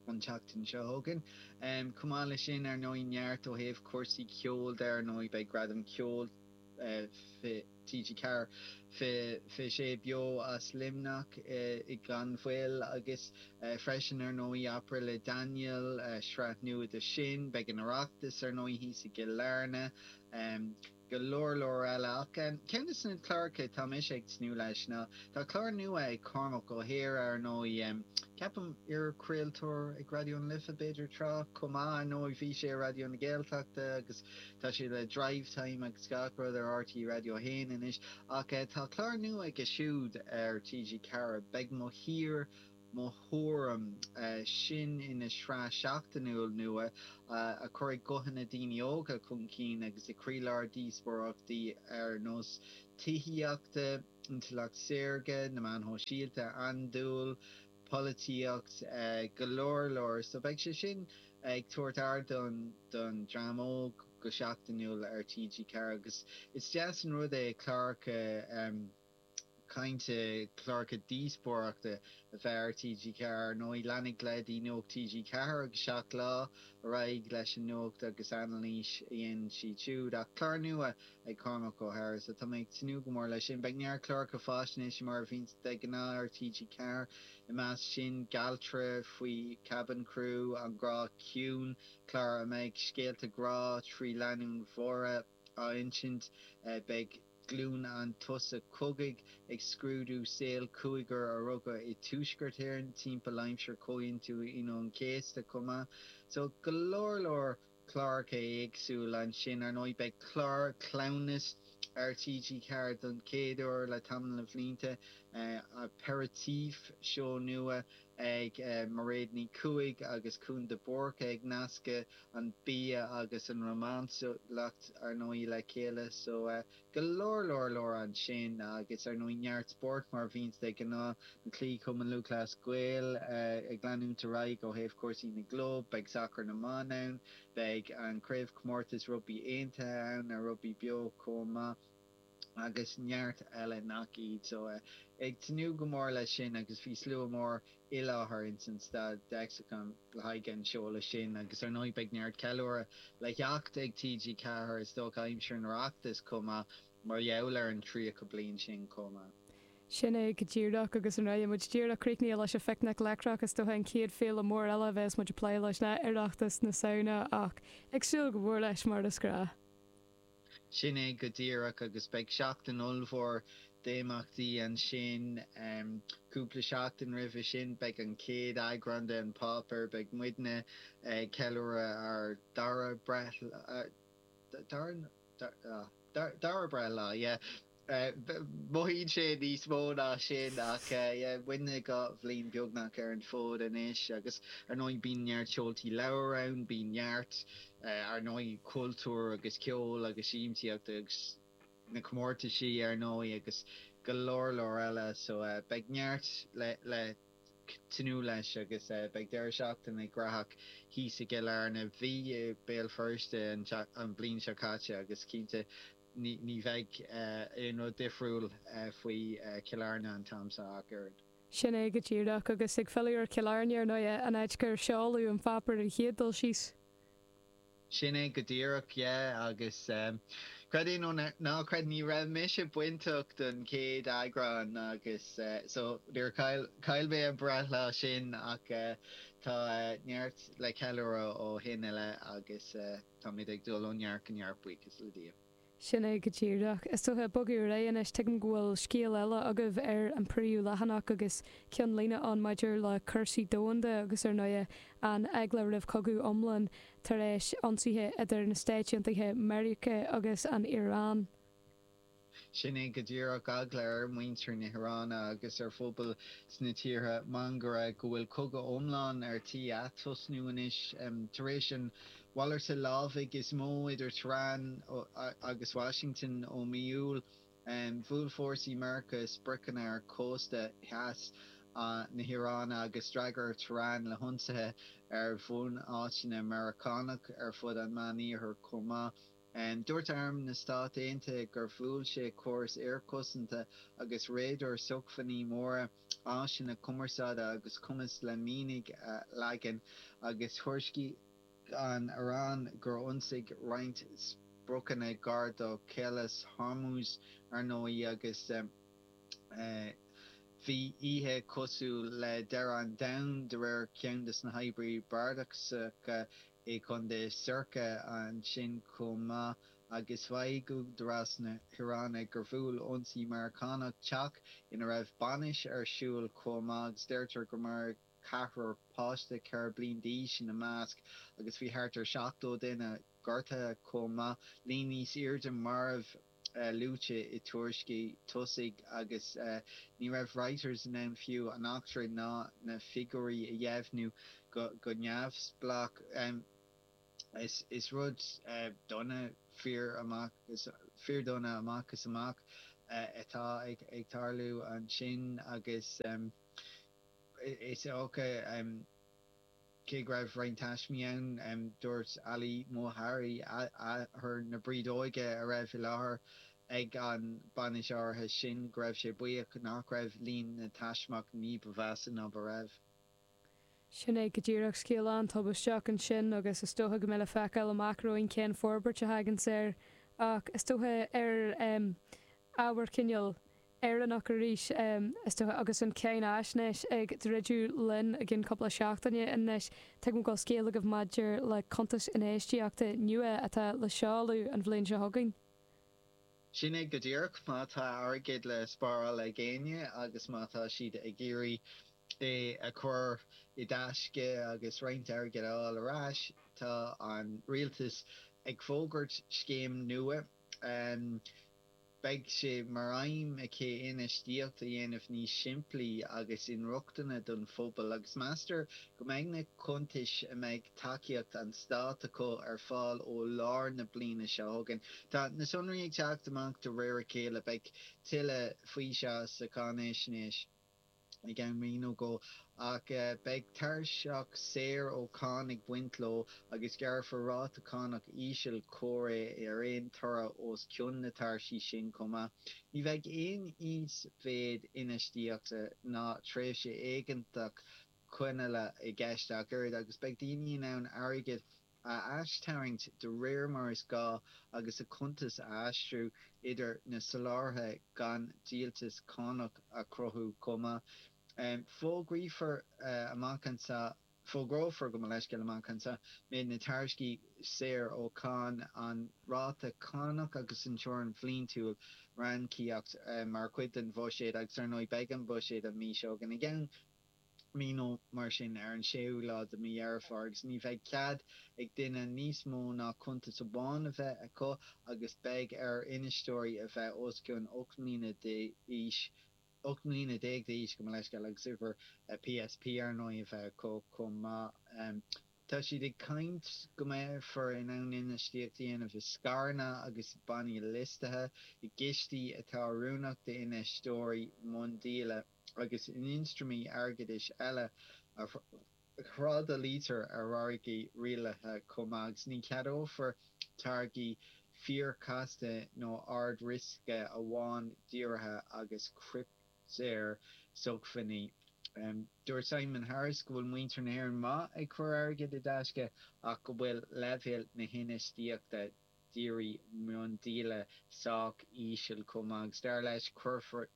an tseachtain seo chugainn. Chomh maith leis sin, ar ndóigh, neart ó thaobh cúrsaí ceoil de. Ar ndóigh, beidh Gradam Ceoil TG4, fiche fiche sé beo as Luimneach gan mhoill agus freisin, ar ndóigh, Opry le Daniel, sraith nua de sin. Beidh an Oireachtas, ar ndóigh, thíos i gCill Airne. go leor leor eile ach ceann de na cláracha tá mise ag tnúth leis ná tá clár nua ag Cormac Ó hEadhra ar ndóigh ceapaim iarchraoltóir ag Raidió na Life b'fhéidir tráth chomh maith ar ndóigh bhí sé ar Raidió na Gaeltachta agus tá sé le Drivetime agus gach rud ar RTÉ Raidió a hAon anois ach tá clár nua aige siúd ar TG4 beidh Mo Thír Mo Thuairim. Sin ina shraith sheachtainiúil nua a chuirfidh guthanna daoine óga chun cinn agus i gcroílár díospóireachtaí ar nós tithíochta, intleacht shaorga, na meáin shóisialta, andúil, polaitíocht, go leor leor. So beidh sé sin ag tabhairt ardán don dream óg go seachtainiúil ar TG4 agus is deas an rud é cláracha, cainte cláracha díospóireachta a bheith ar TG4. Ar ndóigh, leanfaidh leithéidí Nuacht TG4 agus Seacht Lá ar aghaidh leis an nuacht agus anailís a dhéanann siad siúd. Ach clár nua ag Cormac Ó hEadhra sa, tá mé ag tnúth go mór leis sin, beidh neart cláracha fáisnéise mar a bhíonn de ghnáth ar TG4, i measc sin Galtra faoi Cabin Crew, An Grá Ciúin, clár a mbeidh scéalta grá trí lánúin bhodhra, á insint. Beidh glúin an tsosa cogaidh ag scrúdú saol cúigear a rugadh i Tuaisceart Éireann timpeall aimsir Chomhaontú Aoine an Chéasta chomh maith. So, go leor leor cláracha éagsúil ansin. Ar ndóigh, beidh clár cleamhnas ar TG4 don chéad uair le tamall de bhlianta, Aperitif, seó nua ag Mairéad Ní Chuaig agus Cúán de Búrca ag nascadh an bia agus an románsúlacht, ar ndóigh, le chéile. So, go leor, leor, leor ansin agus, ar ndóigh, neart spóirt mar a bhíonns de ghnáth. na cluichí Chumann Lúthchleas Gael ag leanúint ar aghaidh ó thaobh cúrsaí na gclub. Beidh sacar na mban ann. Beidh an craobhchomórtas rugbaí aontaithe ann ar Rugbaí Beo chomh maith. agus neart eile nach iad. So eh ag tnúth go mór leis sin agus bhí slua mór i láthair ins an Lexicon le haghaidh an seoladh sin agus ar ndóigh beidh neart ceiliúradh le theacht ag TG4 is dócha aimsir an Oireachtais chomh maith mar gheall ar an 30 bliain sin chomh maith. Sin é go díreach agus nuair atá muid díreach críochnaithe leis an Phicnic Leictreach is dócha an chéad féile mór eile a bheas muid ag plé leis ná Oireachtas na Samhna ach ag súil go mór leis mar is gnách. Sin é go díreach agus beidh seachtain ollmhór d'imeachtaí ansin. Cúpla seachtain roimhe sin beidh an chéad eagrán de An Páipéar, beidh muidne ag ceiliúradh ár dara breithlá, dara breithlá, yeah. Mothaíonn sé níos mó ná sin ach táimid dhá bhliain beagnach ar an fód anois agus ar ndóigh bíonn neart seoltaí leabhar ann, bíonn neart, ar ndóigh, cultúr agus ceol agus siamsaíocht agus na comórtaisí, ar ndóigh, agus go leor leor eile so beidh neart le tnúth leis agus beidh deireadh seachtaine gnaitheach thíos i gCill Airne. Bhí i mBéal Feirste an bhliain seo caite agus cinnte Ní bheidh aon rud difriúil faoi Chill Airne an t-am seo ach oiread. Sin é go díreach, agus ag filleadh ar Chill Airne, ar ndóighe, an áit gur seoladh An Páipéar an chéad dul síos. Sin é go díreach, yeah, agus creid é nó ná creid ní raibh mise bainteach don chéad eagrán agus so níor chaill, chaill mé an breithlá sin ach tá neart le ceiliúradh ó shin i leith agus. Táimid ag dul ó neart go neart buíochas le Dia. Sin é go díreach. Is dócha bogadh ar aghaidh anois. Tuigim go bhfuil scéal eile agaibh ar an príomhleathanach agus ceannlíne ann maidir le cúrsaí domhanda agus ar ndóigh an eagla roimh chogadh iomlán tar éis ionsaithe idir na Stáit Aontaithe Meiriceá agus an Iaráin. Sin é go díreach eagla ar mhuintir na hIaráine agus ar phobail sna tíortha máguaird, go bhfuil cogadh iomlán ar tí atosnú anois. Tar éis an mhalarta lámhaigh is mó idir Tehran agus Washington ó mhí Iúil, bhuail fórsaí Meirceá spriocanna ar chósta theas na hIaráine agus d'fhreagair Tehran le hionsaithe ar bhunáiteanna Meiriceánach ar fud an Mheánoirthir chomh maith. Dúirt Arm na Stát Aontaithe gur bhuail sé córas aerchosanta agus radair, sócmhainní mara, áiseanna cumarsáide agus cumas le mianaigh a leagan, agus thuairiscigh an Iráin gur ionsaíodh roinnt spriocanna gar do Chaolas Hormuz, ar ndóigh, agus bhí oíche cosúil le deireadh an domhain, de réir ceann de na hoibrithe bardasacha. i gContae Sorcha ansin chomh maith agus mhaígh údaráis na hIaráine gur bhuail ionsaí Meiriceánach teach ina raibh bainis ar siúl chomh maith agus deirtear gur maraíodh ceathrar, páiste 4 bliain d'aois ina measc agus bhí thart ar 70 duine gortaithe chomh maith, líon níos airde marbh. luaite i dtuairiscí tosaigh agus ní raibh Reuters in ann fiú an eachtra ná na figiúirí a dheimhniú go neamhspleách. Is rud dona fíor amach fíordhona amach is amach atá ag tarlú ansin agus is dócha Cé go raibh roinnt taismí ann, dúirt Ali Mohari, athair na brídeoige a raibh i láthair ag an mbainis áirithe sin, go raibh sé buíoch nach raibh líon na taismeach ní ba mheasa ná mar a bhí. Sin é go díreach scéal an-tubaisteach ansin agus is dócha go mbeidh le feiceáil amach romhainn cén forbairt a thagann air ach is dócha ar ábhar cineál Éireannach arís, is dócha, agus an Cháinaisnéis ag druidim linn i gceann cúpla seachtaine anois. Tuigim go bhfuil scéal agaibh maidir le cuntas infheistíochta nua atá le seoladh an bhliain seo chugainn. Sin é go díreach. Má tá airgead le spáráil ag éinne agus má tá siad ag iarraidh é a chur i dtaisce agus roinnt airgid a fháil ar ais, tá an rialtas ag fógairt scéim nua. Beidh sé mar aidhm aici infheistíocht a dhéanamh níos simplí agus inrochtana don phobal agus meastar go mbeidh na cuntais a mbeidh tacaíocht an stáit acu ar fáil ó lár na bliana seo chugainn. Tá na sonraí ag teacht amach de réir a chéile. Beidh tuilleadh faoi seo sa cháinaisnéis. ag am lóin nó dhó, ach beidh tairseach saor ó cháin ag baint leo agus gearrfar ráta cánach íseal comhréidh ar aon toradh os cionn na tairsí sin chomh maith. Ní bheidh aon íosmhéid infheistíochta ná tréimhse éigeantach coinneála i gceist ach oiread agus beidh daoine in ann airgead a aistarraingt de réir mar is gá agus a cuntas a aistriú idir na soláthraithe gan dliteanas cánach a chruthú chomh maith. Fógraífear amach anseo, fógrófar, gabh mo leithscéal, amach anseo, méid na tairsí saor ó cháin, an ráta cánach agus an teorainn bhliantúil ranníocaíochta mar chuid den bhuiséad agus, ar ndóigh, beidh an buiséad an mhí seo chugainn i gceann. mí nó mar sin ar an séú lá de mhí Dheireadh Fómhair agus ní bheidh cead ag duine níos mó ná cuntas amháin a bheith acu agus beidh ar infheisteoirí a bheith os cionn ocht mbliana d'aois, ocht mbliana déag d'aois, gabh mo leithscéal, agus uimhir PSP ar ndóigh a bheith acu chomh maith. Tá siad ag caint go mbeifear in ann infheistíocht a dhéanamh i scaireanna agus i bannaí liostaithe, i gcistí atá oiriúnach d'infheisteoirí miondíola. agus in ionstraimí airgeadais eile a thrádálaítear ar mhargaidh rialaithe chomh maith, agus ní cheadófar táirgí fíorchasta nó ard-riosca amhail díorthaigh agus criptea-shócmhainní. Dúirt Simon Harris go bhfuil muintir na hÉireann maith ag cur airgead i dtaisce ach go bhfuil leibhéal na hinfheistíochta dírí miondíola sách íseal chomh maith agus dar leis, cuirfidh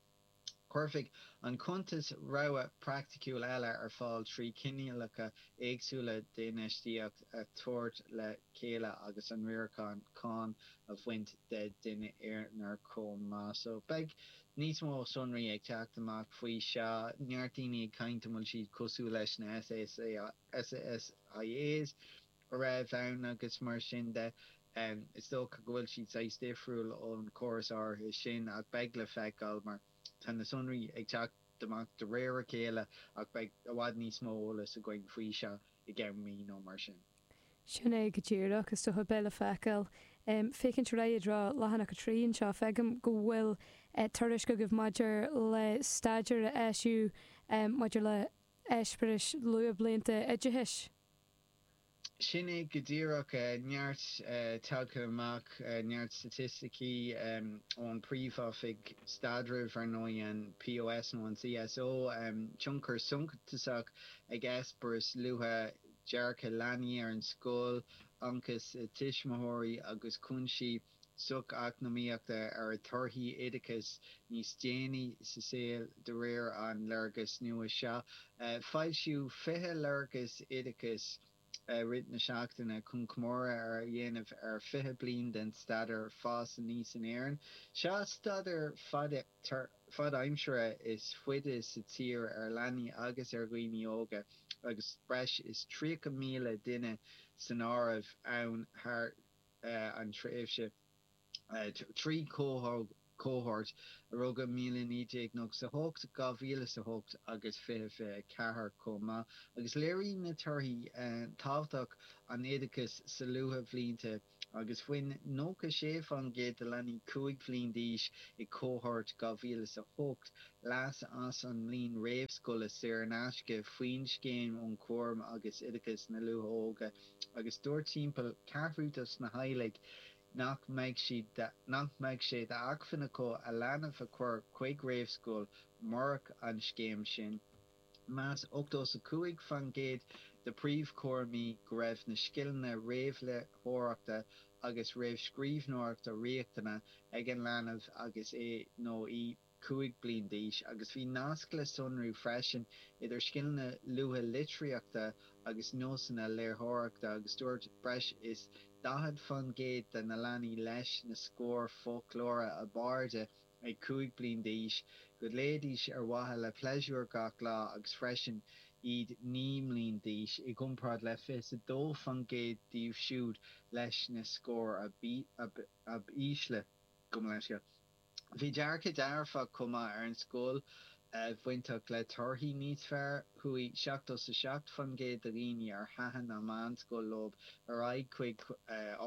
Cuirfidh an cuntas rogha phraiticiúil eile ar fáil trí chineálacha éagsúla d'infheistíocht a thabhairt le chéile agus an riarachán cánach a bhaint den duine aonair chomh maith. So, beidh níos mó sonraí ag teacht amach faoi seo. Neart daoine ag caint an bhfuil siad cosúil leis na SSIAs. a raibh ann agus mar sin de. Is dócha go bhfuil siad saghas difriúil ón gcóras áirithe sin ach beidh le feiceáil mar tá na sonraí ag teacht amach de réir a chéile ach beidh i bhfad níos mó eolas againn faoi seo i gceann mí nó mar sin. Sin é go díreach, is dócha. Beidh le feiceáil. Ag féachaint ar aghaidh i dtreo leathanach 3 anseo, feicim go bhfuil tuairisc agaibh maidir le staidéar a eisíodh maidir le heispéiris luathbhlianta oideachais. Sin é go díreach, neart tagtha amach, neart staitisticí ón bPríomhoifig Staidrimh, ar ndóigh, an POS nó an CSO, tionchar suntasach ag eispéiris luatha, dearcadh leanaí ar an scoil, ionchais tuismitheoirí agus cúinsí. socheacnamaíochta ar thorthaí oideachais níos déanaí sa saol de réir an léargais nua seo. Foilsíodh 20 léargas oideachais i rith na seachtaine chun comóradh a dhéanamh ar 20 bliain den staidéar fás aníos in Éirinn. Is é an staidéar fadaimseartha is faide sa tír ar leanaí agus ar dhaoine óga agus breis is 30,000 duine san áireamh ann thar an tréimhse trí chohórt a rugadh i 1998, 2008 agus 2024 chomh maith agus léiríonn na torthaí tábhacht an oideachais sna luathbhlianta agus bhain 96% de leanaí 5 bliana d'aois i gcohórt 2008 leas as an mbliain réamhscoile saor in aisce faoin Scéim um Chúram agus Oideachas na Luath-Óige agus dúirt timpeall ceathrú dos na teaghlaigh nach mbeidh siad nach mbeidh sé d'acmhainn acu a leanbh a chur chuig réamhscoil murach an scéim sin. Mheas ochtó is a cúig fan gcéad de phríomhchúramaithe go raibh na scileanna réamhléitheoireachta agus réamhscríbhneoireachta riachtanach ag an leanbh agus é nó í ag. 5 bliana d'aois agus bhí nasc le sonrú freisin idir scileanna luaithe litríochta agus nósanna léitheoireachta agus dúirt breis is 40 fán gcéad de na leanaí leis na scóir foclóra ab airde ag 5 bliana d'aois go léidís ar mhaithe le pléisiúr gach lá agus freisin iad 9 mbliana d'aois i gcomparáid le 22 fán gcéad díobh siúd leis na scóir ab ísle go mba leisce Bhí dearcadh dearfach chomh maith ar an scoil bainteach le torthaí níos fearr. Chuaigh seachtó 's a seacht fan gcéad de dhaoine ar thaitin an mheánscoil leo ar aghaidh chuig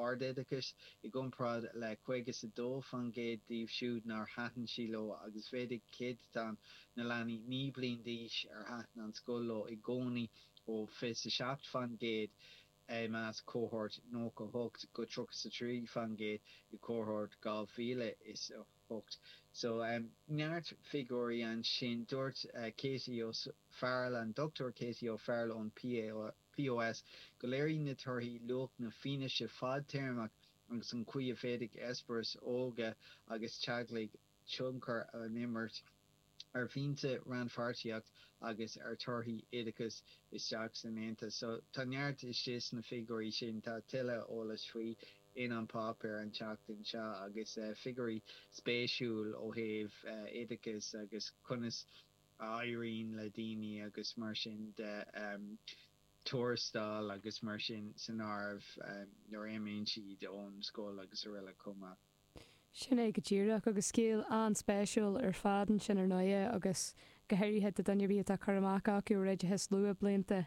ardoideachais, i gcomparáid le caoga 's a dó fan gcéad díobh siúd nár thaitin sí leo agus mhéadaigh céadatán na leanaí naoi mbliana d'aois ar thaitin an scoil leo i gcónaí ó fiche 's a seacht fan gcéad I measc cohórt nócha hocht go tríocha 's a trí fan gcéad i gcohórt dhá mhíle is a hocht. So, neart figiúirí ansin. Dúirt Katie O Farrell, an Dr Katie O Farrell ón POS, go léiríonn na torthaí luach na fianaise fadtéarmaí agus an chaoi a bhféadfadh eispéiris óige agus teaghlaigh, tionchar a imirt ar mhianta rannpháirtíocht agus ar thorthaí oideachais isteach san Aontas. So tá neart istigh sna figiúirí sin, tá tuilleadh eolais faoi in An Páipéar an tseachtain seo agus figiúirí spéisiúil ó thaobh oideachais agus conas a éiríonn le daoine agus mar sin de, tuarastail agus mar sin san áireamh nuair a imíonn siad ón scoil agus araile chomh maith. Sin é go díreach, agus scéal an-spéisiúil ar fad ansin ar ndóighe, agus go háirithe do dhuine ar bith atá cur amach acu ar oideachas luathbhlianta.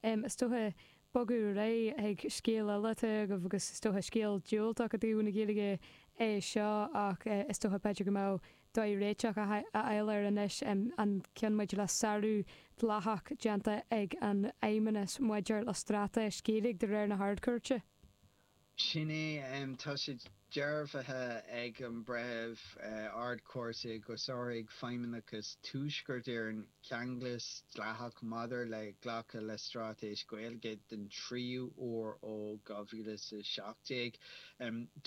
Is dócha, bogadh ar aghaidh chuig scéal eile atá agaibh, agus is dócha scéal diúltach i dtaobh na Gaeilge é seo, ach is dócha b'fhéidir go mbeadh dóigh réiteach a fháil air anois, an gceann maidir le sárú dleathach déanta ag an fheidhmeannas maidir le straitéis Ghaeilge de réir na hArd-Chúirte. Sin é. Tá sé dearbhaithe ag an Breitheamh Ard-Chúirte gur sháraigh Feidhmeannachas Thuaisceart Éireann ceanglas dleathach maidir le glacadh le Straitéis Ghaeilge den tríú huair ó 2017.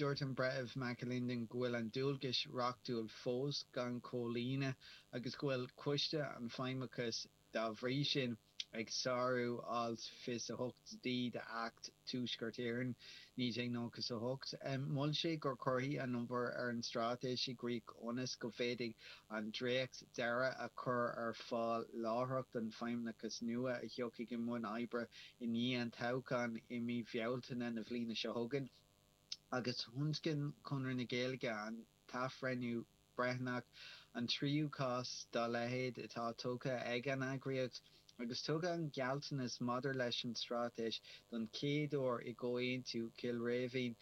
Dúirt an Breitheamh McAlinden go bhfuil an dualgais reachtúil fós gan chomhlíonadh agus go bhfuil Coiste an Feidhmeachais, dá bhrí sin, ag sárú Alt 28D d'Acht Thuaisceart Éireann, 1998. Mhol sé go gcuirfí an obair ar an Straitéis i gcrích ionas go bhféadfaí an dréacht deiridh a chur ar fáil láithreach don Feidhmeannachas nua a thiocfaidh i mbun oibre i ndiaidh an toghcháin i mí Bhealtaine na bliana seo chugainn agus thionscain Conradh na Gaeilge an t-athbhreithniú breithiúnach an tríú cás dá leithéid atá tugtha ag an eagraíocht agus tugadh an gealltanas maidir leis an straitéis don chéad uair i gComhaontú Chill Rímhinn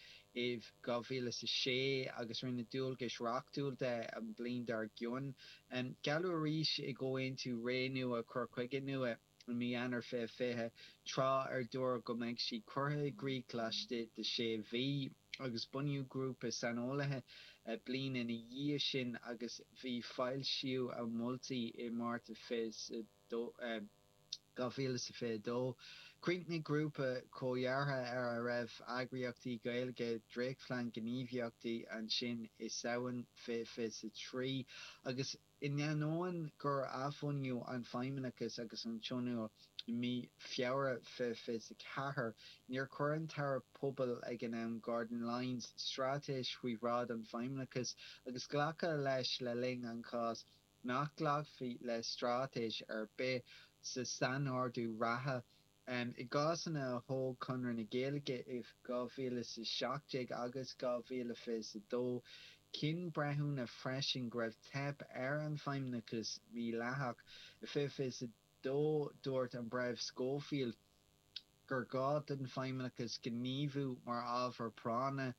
i 2006 agus rinneadh dualgais reachtúil de an bhliain dár gcionn. Gealladh arís i gComhaontú Ré Nua Cur Chuige Nua. i mí Eanáir 2020, tráth ar dúradh go mbeadh sí curtha i gcrích laistigh de sé mhí, agus bunaíodh grúpa saineolaithe bliain ina dhiaidh sin agus bhí foilsíodh a moltaí i Márta 2022. Chríochnaigh grúpa comhdheartha ar a raibh eagraíochtaí Gaeilge dréachtphlean gníomhaíochtaí ansin i Samhain 2023 agus. In ainneoin gur athbhunaíodh an feidhmeannachas agus an tionól i mí Feabhra 2024, níor chuir an tAire Pobal ag an am, Gordon Lyons, straitéis faoi bhráid an feidhmeannachais agus glacadh leis le linn an cháis nach nglacfaí le straitéis ar bith sa sainordú reatha I gcásanna a thóg Conradh na Gaeilge i 2017 agus 2022, chinn breithiúna freisin go raibh teip ar an bhfeidhmeannachas mídhleathach. I 2022 dúirt an Breitheamh Scoffield gur ghá don feidhmeannachas gníomhú mar ábhar práinne.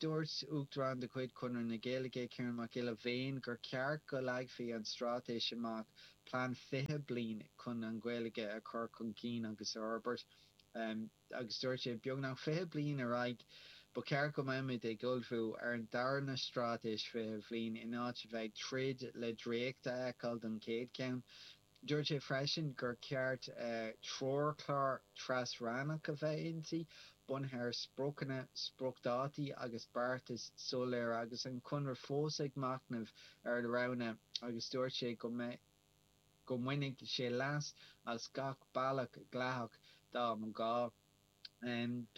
Dúirt Uachtarán de chuid Chonradh na Gaeilge, Ciarán Mac Giolla Bhéin, gur cheart go leagfaí an straitéis amach Plean 20 bliain chun an Ghaeilge a chur chun cinn agus a fhorbairt agus dúirt sé, Beagnach 20 bliain ar aghaidh, ba cheart go mbeimid ag ullmhú ar an dara na Straitéis 20 Bhliain in áit a bheith ag troid le dréacht a fheiceáil don chéad cheann. Dúirt sé freisin gur cheart treoirchlár tras-rannach a bheith inti, bunaithe ar spriocanna, spriocdhátaí agus beartais soiléire agus an Conradh fós ag machnamh ar roghanna. agus dúirt sé go go mbainfidh sé leas as gach bealach dleathach dá mba ghá.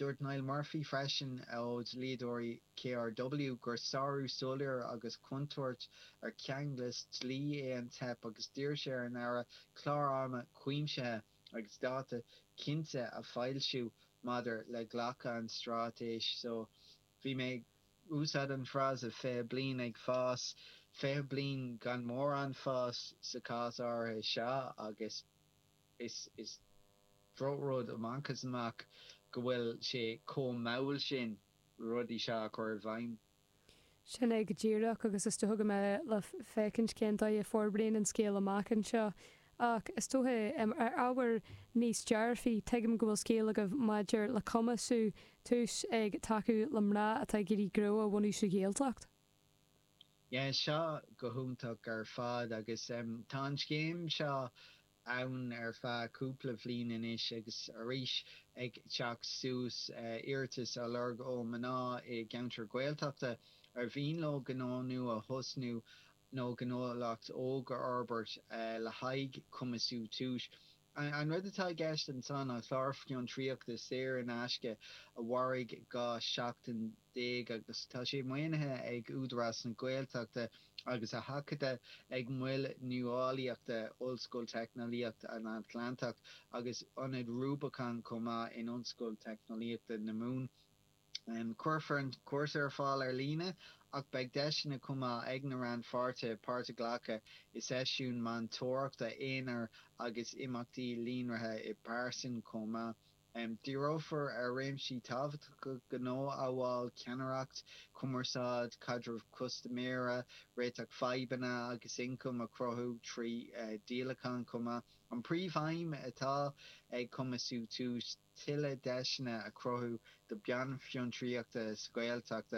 Dúirt Niall Murphy freisin ó dhlíodóirí KRW gur sárú soiléir agus contúirt ar cheanglas dlí é an teip agus d'iarr sé ar an Aire clár ama cuimsithe agus dáta cinnte a fhoilsiú maidir le glacadh an straitéis so. Bhí mé ag úsáid an frása 20 bliain ag fás, 20 bliain gan mórán fáis sa chás áirithe seo agus is drochrud amach is amach go bhfuil sé chomh mall sin rudaí seo a chur i bhfeidhm. Sin é go díreach agus is dócha go mbeidh le féachaint cén dóigh a fhorbraíonn an scéal amach anseo Ach is dóigh um ar ábhair níos dearfaí, tuigim go bhfuil scéal agaibh maidir le Cumasú Tús ag tacú le mná atá ag iarraidh gnó a bhunú sa Ghaeltacht. Yeah, tá seo go hiontach ar fad agus um tá an scéim seo ann ar feadh cúpla bhliain anois agus arís ag teacht suas iarratais á lorg ó mná i gceantair Ghaeltachta ar mhian leo gnó nua a thosnú nó gnólacht óg a fhorbairt le haghaidh Cumasú Tús. An rud atá i gceist ansan ná clár fiontraíochta saor in aisce a mhairfidh 12 seachtain agus tá sé maoinithe ag Údarás na Gaeltachta agus a thacaithe ag Mol Nuálaíochta Ollscoil Teicneolaíocht an Atlantaigh agus Ionad Rubicon chomh maith in Ollscoil Teicneolaíochta na Mumhan. Cuirfear an cúrsa ar fáil ar líne ach beidh deiseanna chomh maith ag na rannpháirtithe páirt a ghlacadh i seisiúin meantóireachta aonair agus imeachtaí líonraithe i bpearsan chomh maith. Díreofar ar réimsí tábhachtacha gnó amhail ceannaireacht, cumarsáid, caidreamh custaiméara, réiteach fadhbanna agus ioncam a chruthú trí dhíolacháin chomh maith. An príomhaidhm atá ag Cumasú tús. tuilleadh deiseanna a chruthú do bean fiontraíochta sa Ghaeltacht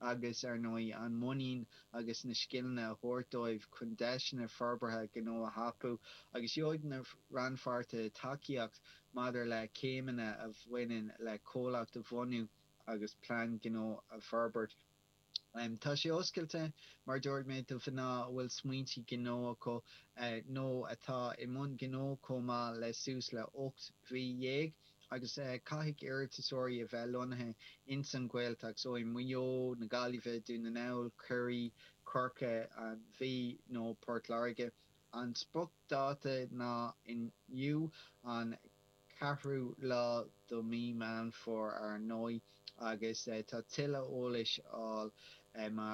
agus, ar ndóigh, an muinín agus na scileanna a thabhairt dóibh chun deiseanna forbartha gnó a thapú, agus gheobhaidh na rannpháirtithe tacaíocht maidir le céimeanna a bhaineann le comhlacht a bhunú agus plean gnó a forbairt. Tá sé oscailte, mar a dúirt mé, do mhná a bhfuil smaointe gnó acu nó atá i mbun gnó chomh maith le suas le hocht mhí dhéag agus caithfidh iarratasóirí a bheith lonnaithe ins an Ghaeltacht, so i Maigh Eo, na Gaillimhe, Dún na nGall, Ciarraí, Corcaigh, an Mhí nó Port Láirge. An spriocdháta ná inniu an. 4ú lá do mí Meán Fomhair ár ndóigh agus tá tuilleadh eolais le fáil má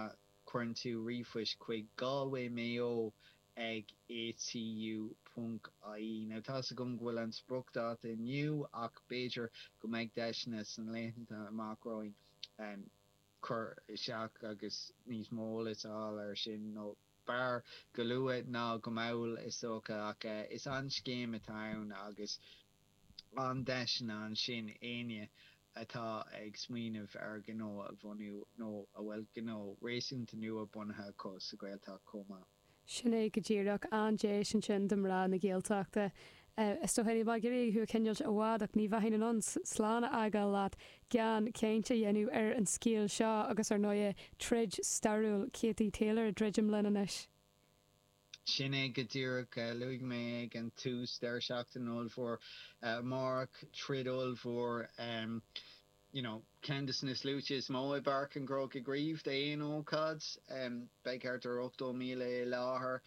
chuireann tú ríomhphost chuig Galway Mayo ag ATU ponc IE. Now tá's agam go bhfuil an spriocdháta inniu ach b'fhéidir go mbeidh deiseanna san laethanta amach romhainn cur isteach agus níos mó eolais a fháil ar sin nó. b'fhearr go luath ná go mall is dócha ach is an-scéim atá ann agus an-deiseanna ansin éinne atá ag smaoineamh ar ghnó a bhunú nó a bhfuil gnó réasúnta nua bunaithe acu sa Ghaeltacht chomh maith. Sin é go díreach, an-deis ansin do mná na Gaeltachta is dóigh. Níl mé ag iarraidh thú a choinneáilt i bhfad ach ní bheinn in ann slán a fhágáil leat gan chaint a dhéanamh ar an scéal seo agus, ar ndóigh, troid stairiúil Katie Taylor ag druidim linn anois. Sin é go díreach. Luaigh mé ag an tús deireadh seachtaine ollmhór amárach, troid ollmhór you know ceann de na sluaite is mó i bPáirc an Chrócaigh riamh d'aon ócáid. Beidh thart ar 80,000 i láthair.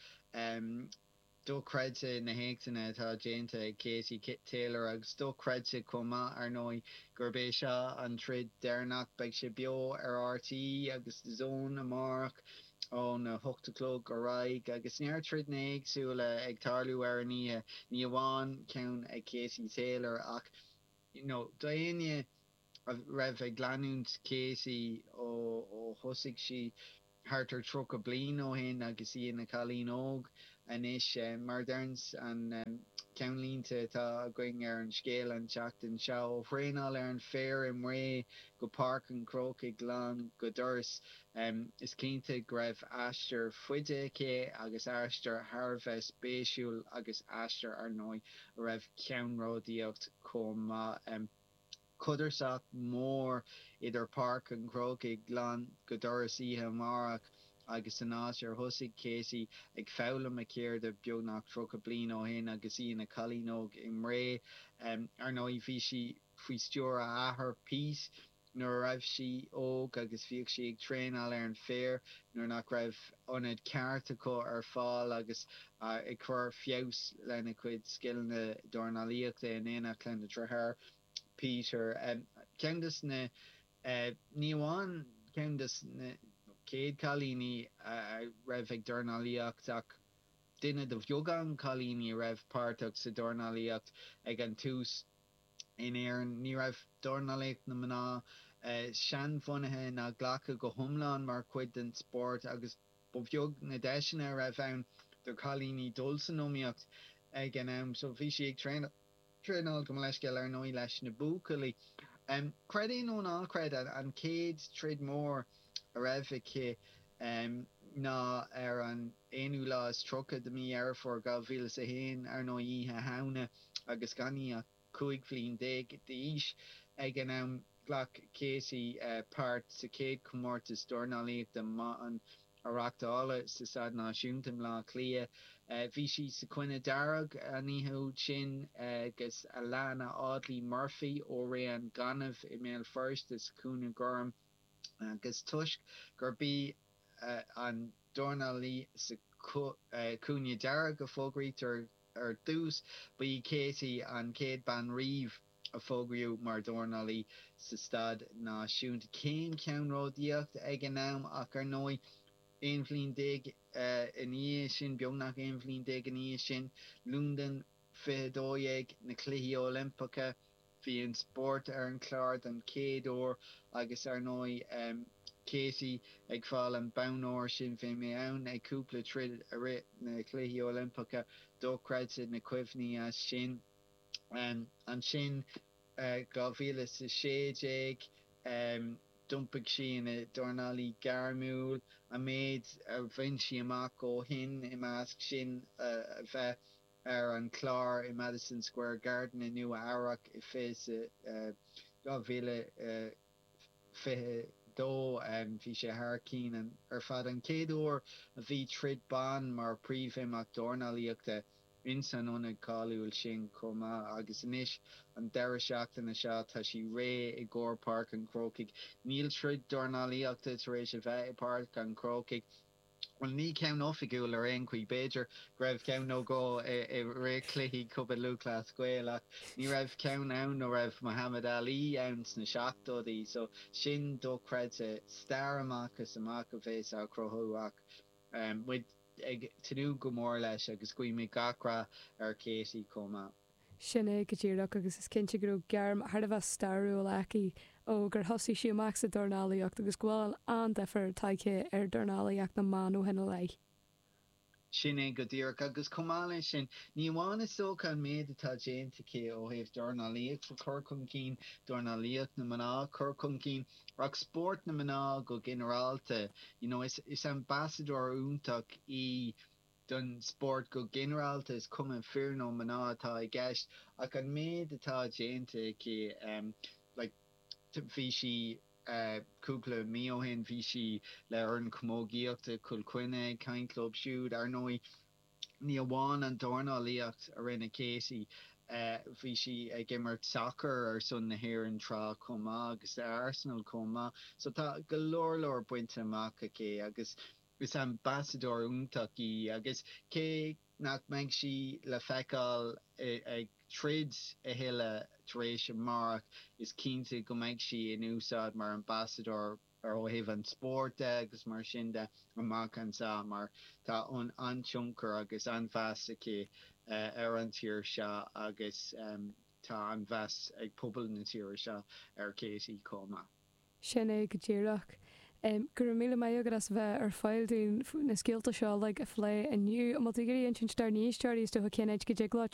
Dochreidte na héachtanna atá déanta ag Katie Taylor agus dochreidte chomh maith, ar ndóigh, gurb é seo an troid deireanach. Beidh sé beo ar RTÉ agus DAZN amárach óna hocht a chlog ar aghaidh agus neart troideanna éagsúla ag tarlú ar an oíche, ní hamháin ceann ag Katie Taylor ach, you know, do éinne? a raibh ag leanúint Katie ó thosaigh sí thart ar 30 bliain ó shin agus í ina cailín óg anois. Mar a deireanns an ceannlínte atá againn ar an scéal an tseachtain seo, ó thraenáil ar an féar i mBré go Páirc an Chrócaigh lán go doras, is cinnte go raibh aistear faide aici agus aistear thar a bheith spéisiúil agus aistear, ar ndóigh, a raibh ceannródaíocht chomh maith. Codarsnacht mhór idir Páirc an Chrócaigh lán go doras oíche amárach agus an áit ar thosaigh Katie ag foghlaim a cheirde beagnach 30 bliain ó shin agus í ina cailín óg i mBré. Ar ndóigh, bhí sí faoi stiúir a hathar, Pete, nuair a raibh sí óg agus bhíodh sí ag traenáil ar an féar nuair nach raibh ionad ceart acu ar fáil agus ag cur feabhas lena cuid scileanna dornálaíochta in éineacht lena deartháir, Peter. Ceann de na, ní amháin ceann de na, chéad chailíní a raibh ag dornálaíocht ach duine de bheagán cailíní a raibh páirteach sa dornálaíocht ag an tús. in Éirinn, ní raibh dornálaíocht na mná seanbhunaithe ná glactha go hiomlán mar chuid den spórt agus ba bheag na deiseanna a raibh ann do chailíní dul san iomaíocht ag an am so bhí sí ag traenáil, gabh mo leithscéal, ar ndóigh, leis na buachaillí. Creid é nó ná creid, an chéad troid mhór a raibh aici ná ar an. aonú lá is tríocha de mí Dheireadh Fómhair 2001, ar ndóigh, Oíche Shamhna, agus gan í ach cúig bhliain déag d'aois ag an am. Ghlac Katie páirt sa chéad chomórtas dornálaíochta mban a reáchtáladh sa Staid Náisiúnta i mBleá Cliath. Bhí sí sa chúinne dhearg an oíche úd sin agus Alanna Audley Murphy ó Rae an Ghainimh i mBéal Feirste sa chúinne gorm agus toisc gurb í an dornálaí sa chúinne dearg a fógraítear ar dtús. Ba í Katie an chéad bean riamh a fógraíodh mar dhornálaí sa staid náisiúnta, céim cheannródaíochta ag an am, ach ar ndóigh, aon bhliain déag ina dhiaidh sin, beagnach aon bhliain déag ina dhiaidh sin, Londain 2012, na Cluichí Oilimpeacha, Bhí an spórt ar an chlár don chéad uair agus ar ndóigh Katie ag fáil an bonn óir sin. Bhí mé ann ag cúpla troid i rith na Cluichí Oilimpeacha, dochreidte na cuimhní as sin. Ansin 2016 d'iompaigh sí ina dornálaí gairmiúil. An méid a bhain sí amach ó shin i measc sin a bheith. ar an gclár i Madison Square Garden i Nua-Eabhrac i fiche 2022. Bhí sé thar cinn ar fad, an chéad uair a bhí troid ban mar príomhimeacht dornálaíochta ins an ionad cáiliúil sin chomh maith agus anois an deireadh seachtaine seo tá sí réidh i gcomhair Páirc an Chrócaigh. Níl troid dornálaíochta tar éis a bheith i Páirc an Chrócaigh. Bhuel, ní ceann oifigiúil ar aon chaoi. B'fhéidir go raibh ceann nó dhó i rith cluichí Chumann Lúthchleas Gael ach ní raibh ceann ann ó raibh Muhammad Ali ann sna seachtóidí so sin dochreidte. Stair amach is amach a bheas á chruthú ach muid ag tnúth go mór leis agus guímid gach rath ar Katie chomh maith. Sin é go díreach agus is cinnte go raibh gairm thar a bheith stairiúil aici ó gur thosaigh sí amach sa dornálaíocht agus go bhfuil an-difear tagtha ar dhornálaíocht na mban ó shin i leith. Sin é go díreach agus chomh maith leis sin, ní amháin is dócha an méid atá déanta aici ó thaobh dornálaíocht a chur chun cinn, dornálaíocht na mná a chur chun cinn, ach spórt na mná go ginearálta. You know, is ambasadóir iontach í. don spórt go ginearálta, is cuma fir nó mná atá i gceist, ach an méid atá déanta aici, like bhí sí cúpla mí ó shin, bhí sí le foireann camógaíochta Chill Chainnigh ag caint leo siúd. Ar ndóigh, ní amháin an dornálaíocht a rinne Katie, bhí sí ag imirt sacar ar son na hÉireann tráth chomh maith agus le Arsenal chomh maith. So tá go leor leor bainte amach aici agus Is ambasadóir iontach í agus cé nach mbeidh sí le feiceáil ag troid a thuilleadh tar éis amárach, is cinnte go mbeidh sí in úsáid mar ambasadóir ar ó thaobh an spóirt de agus mar sin de amach anseo mar tá an-tionchar agus an-mheas aici ar an tír seo agus tá an-mheas ag pobal na tíre seo ar Katie chomh maith. Sin é go díreach. Go raibh míle maith agat as bheith ar fáil dúinn na scéalta seo uilig a phlé inniu. An bhfuil tú ag iarraidh insint dár n-éisteoirí is dócha cén áit go dtig leo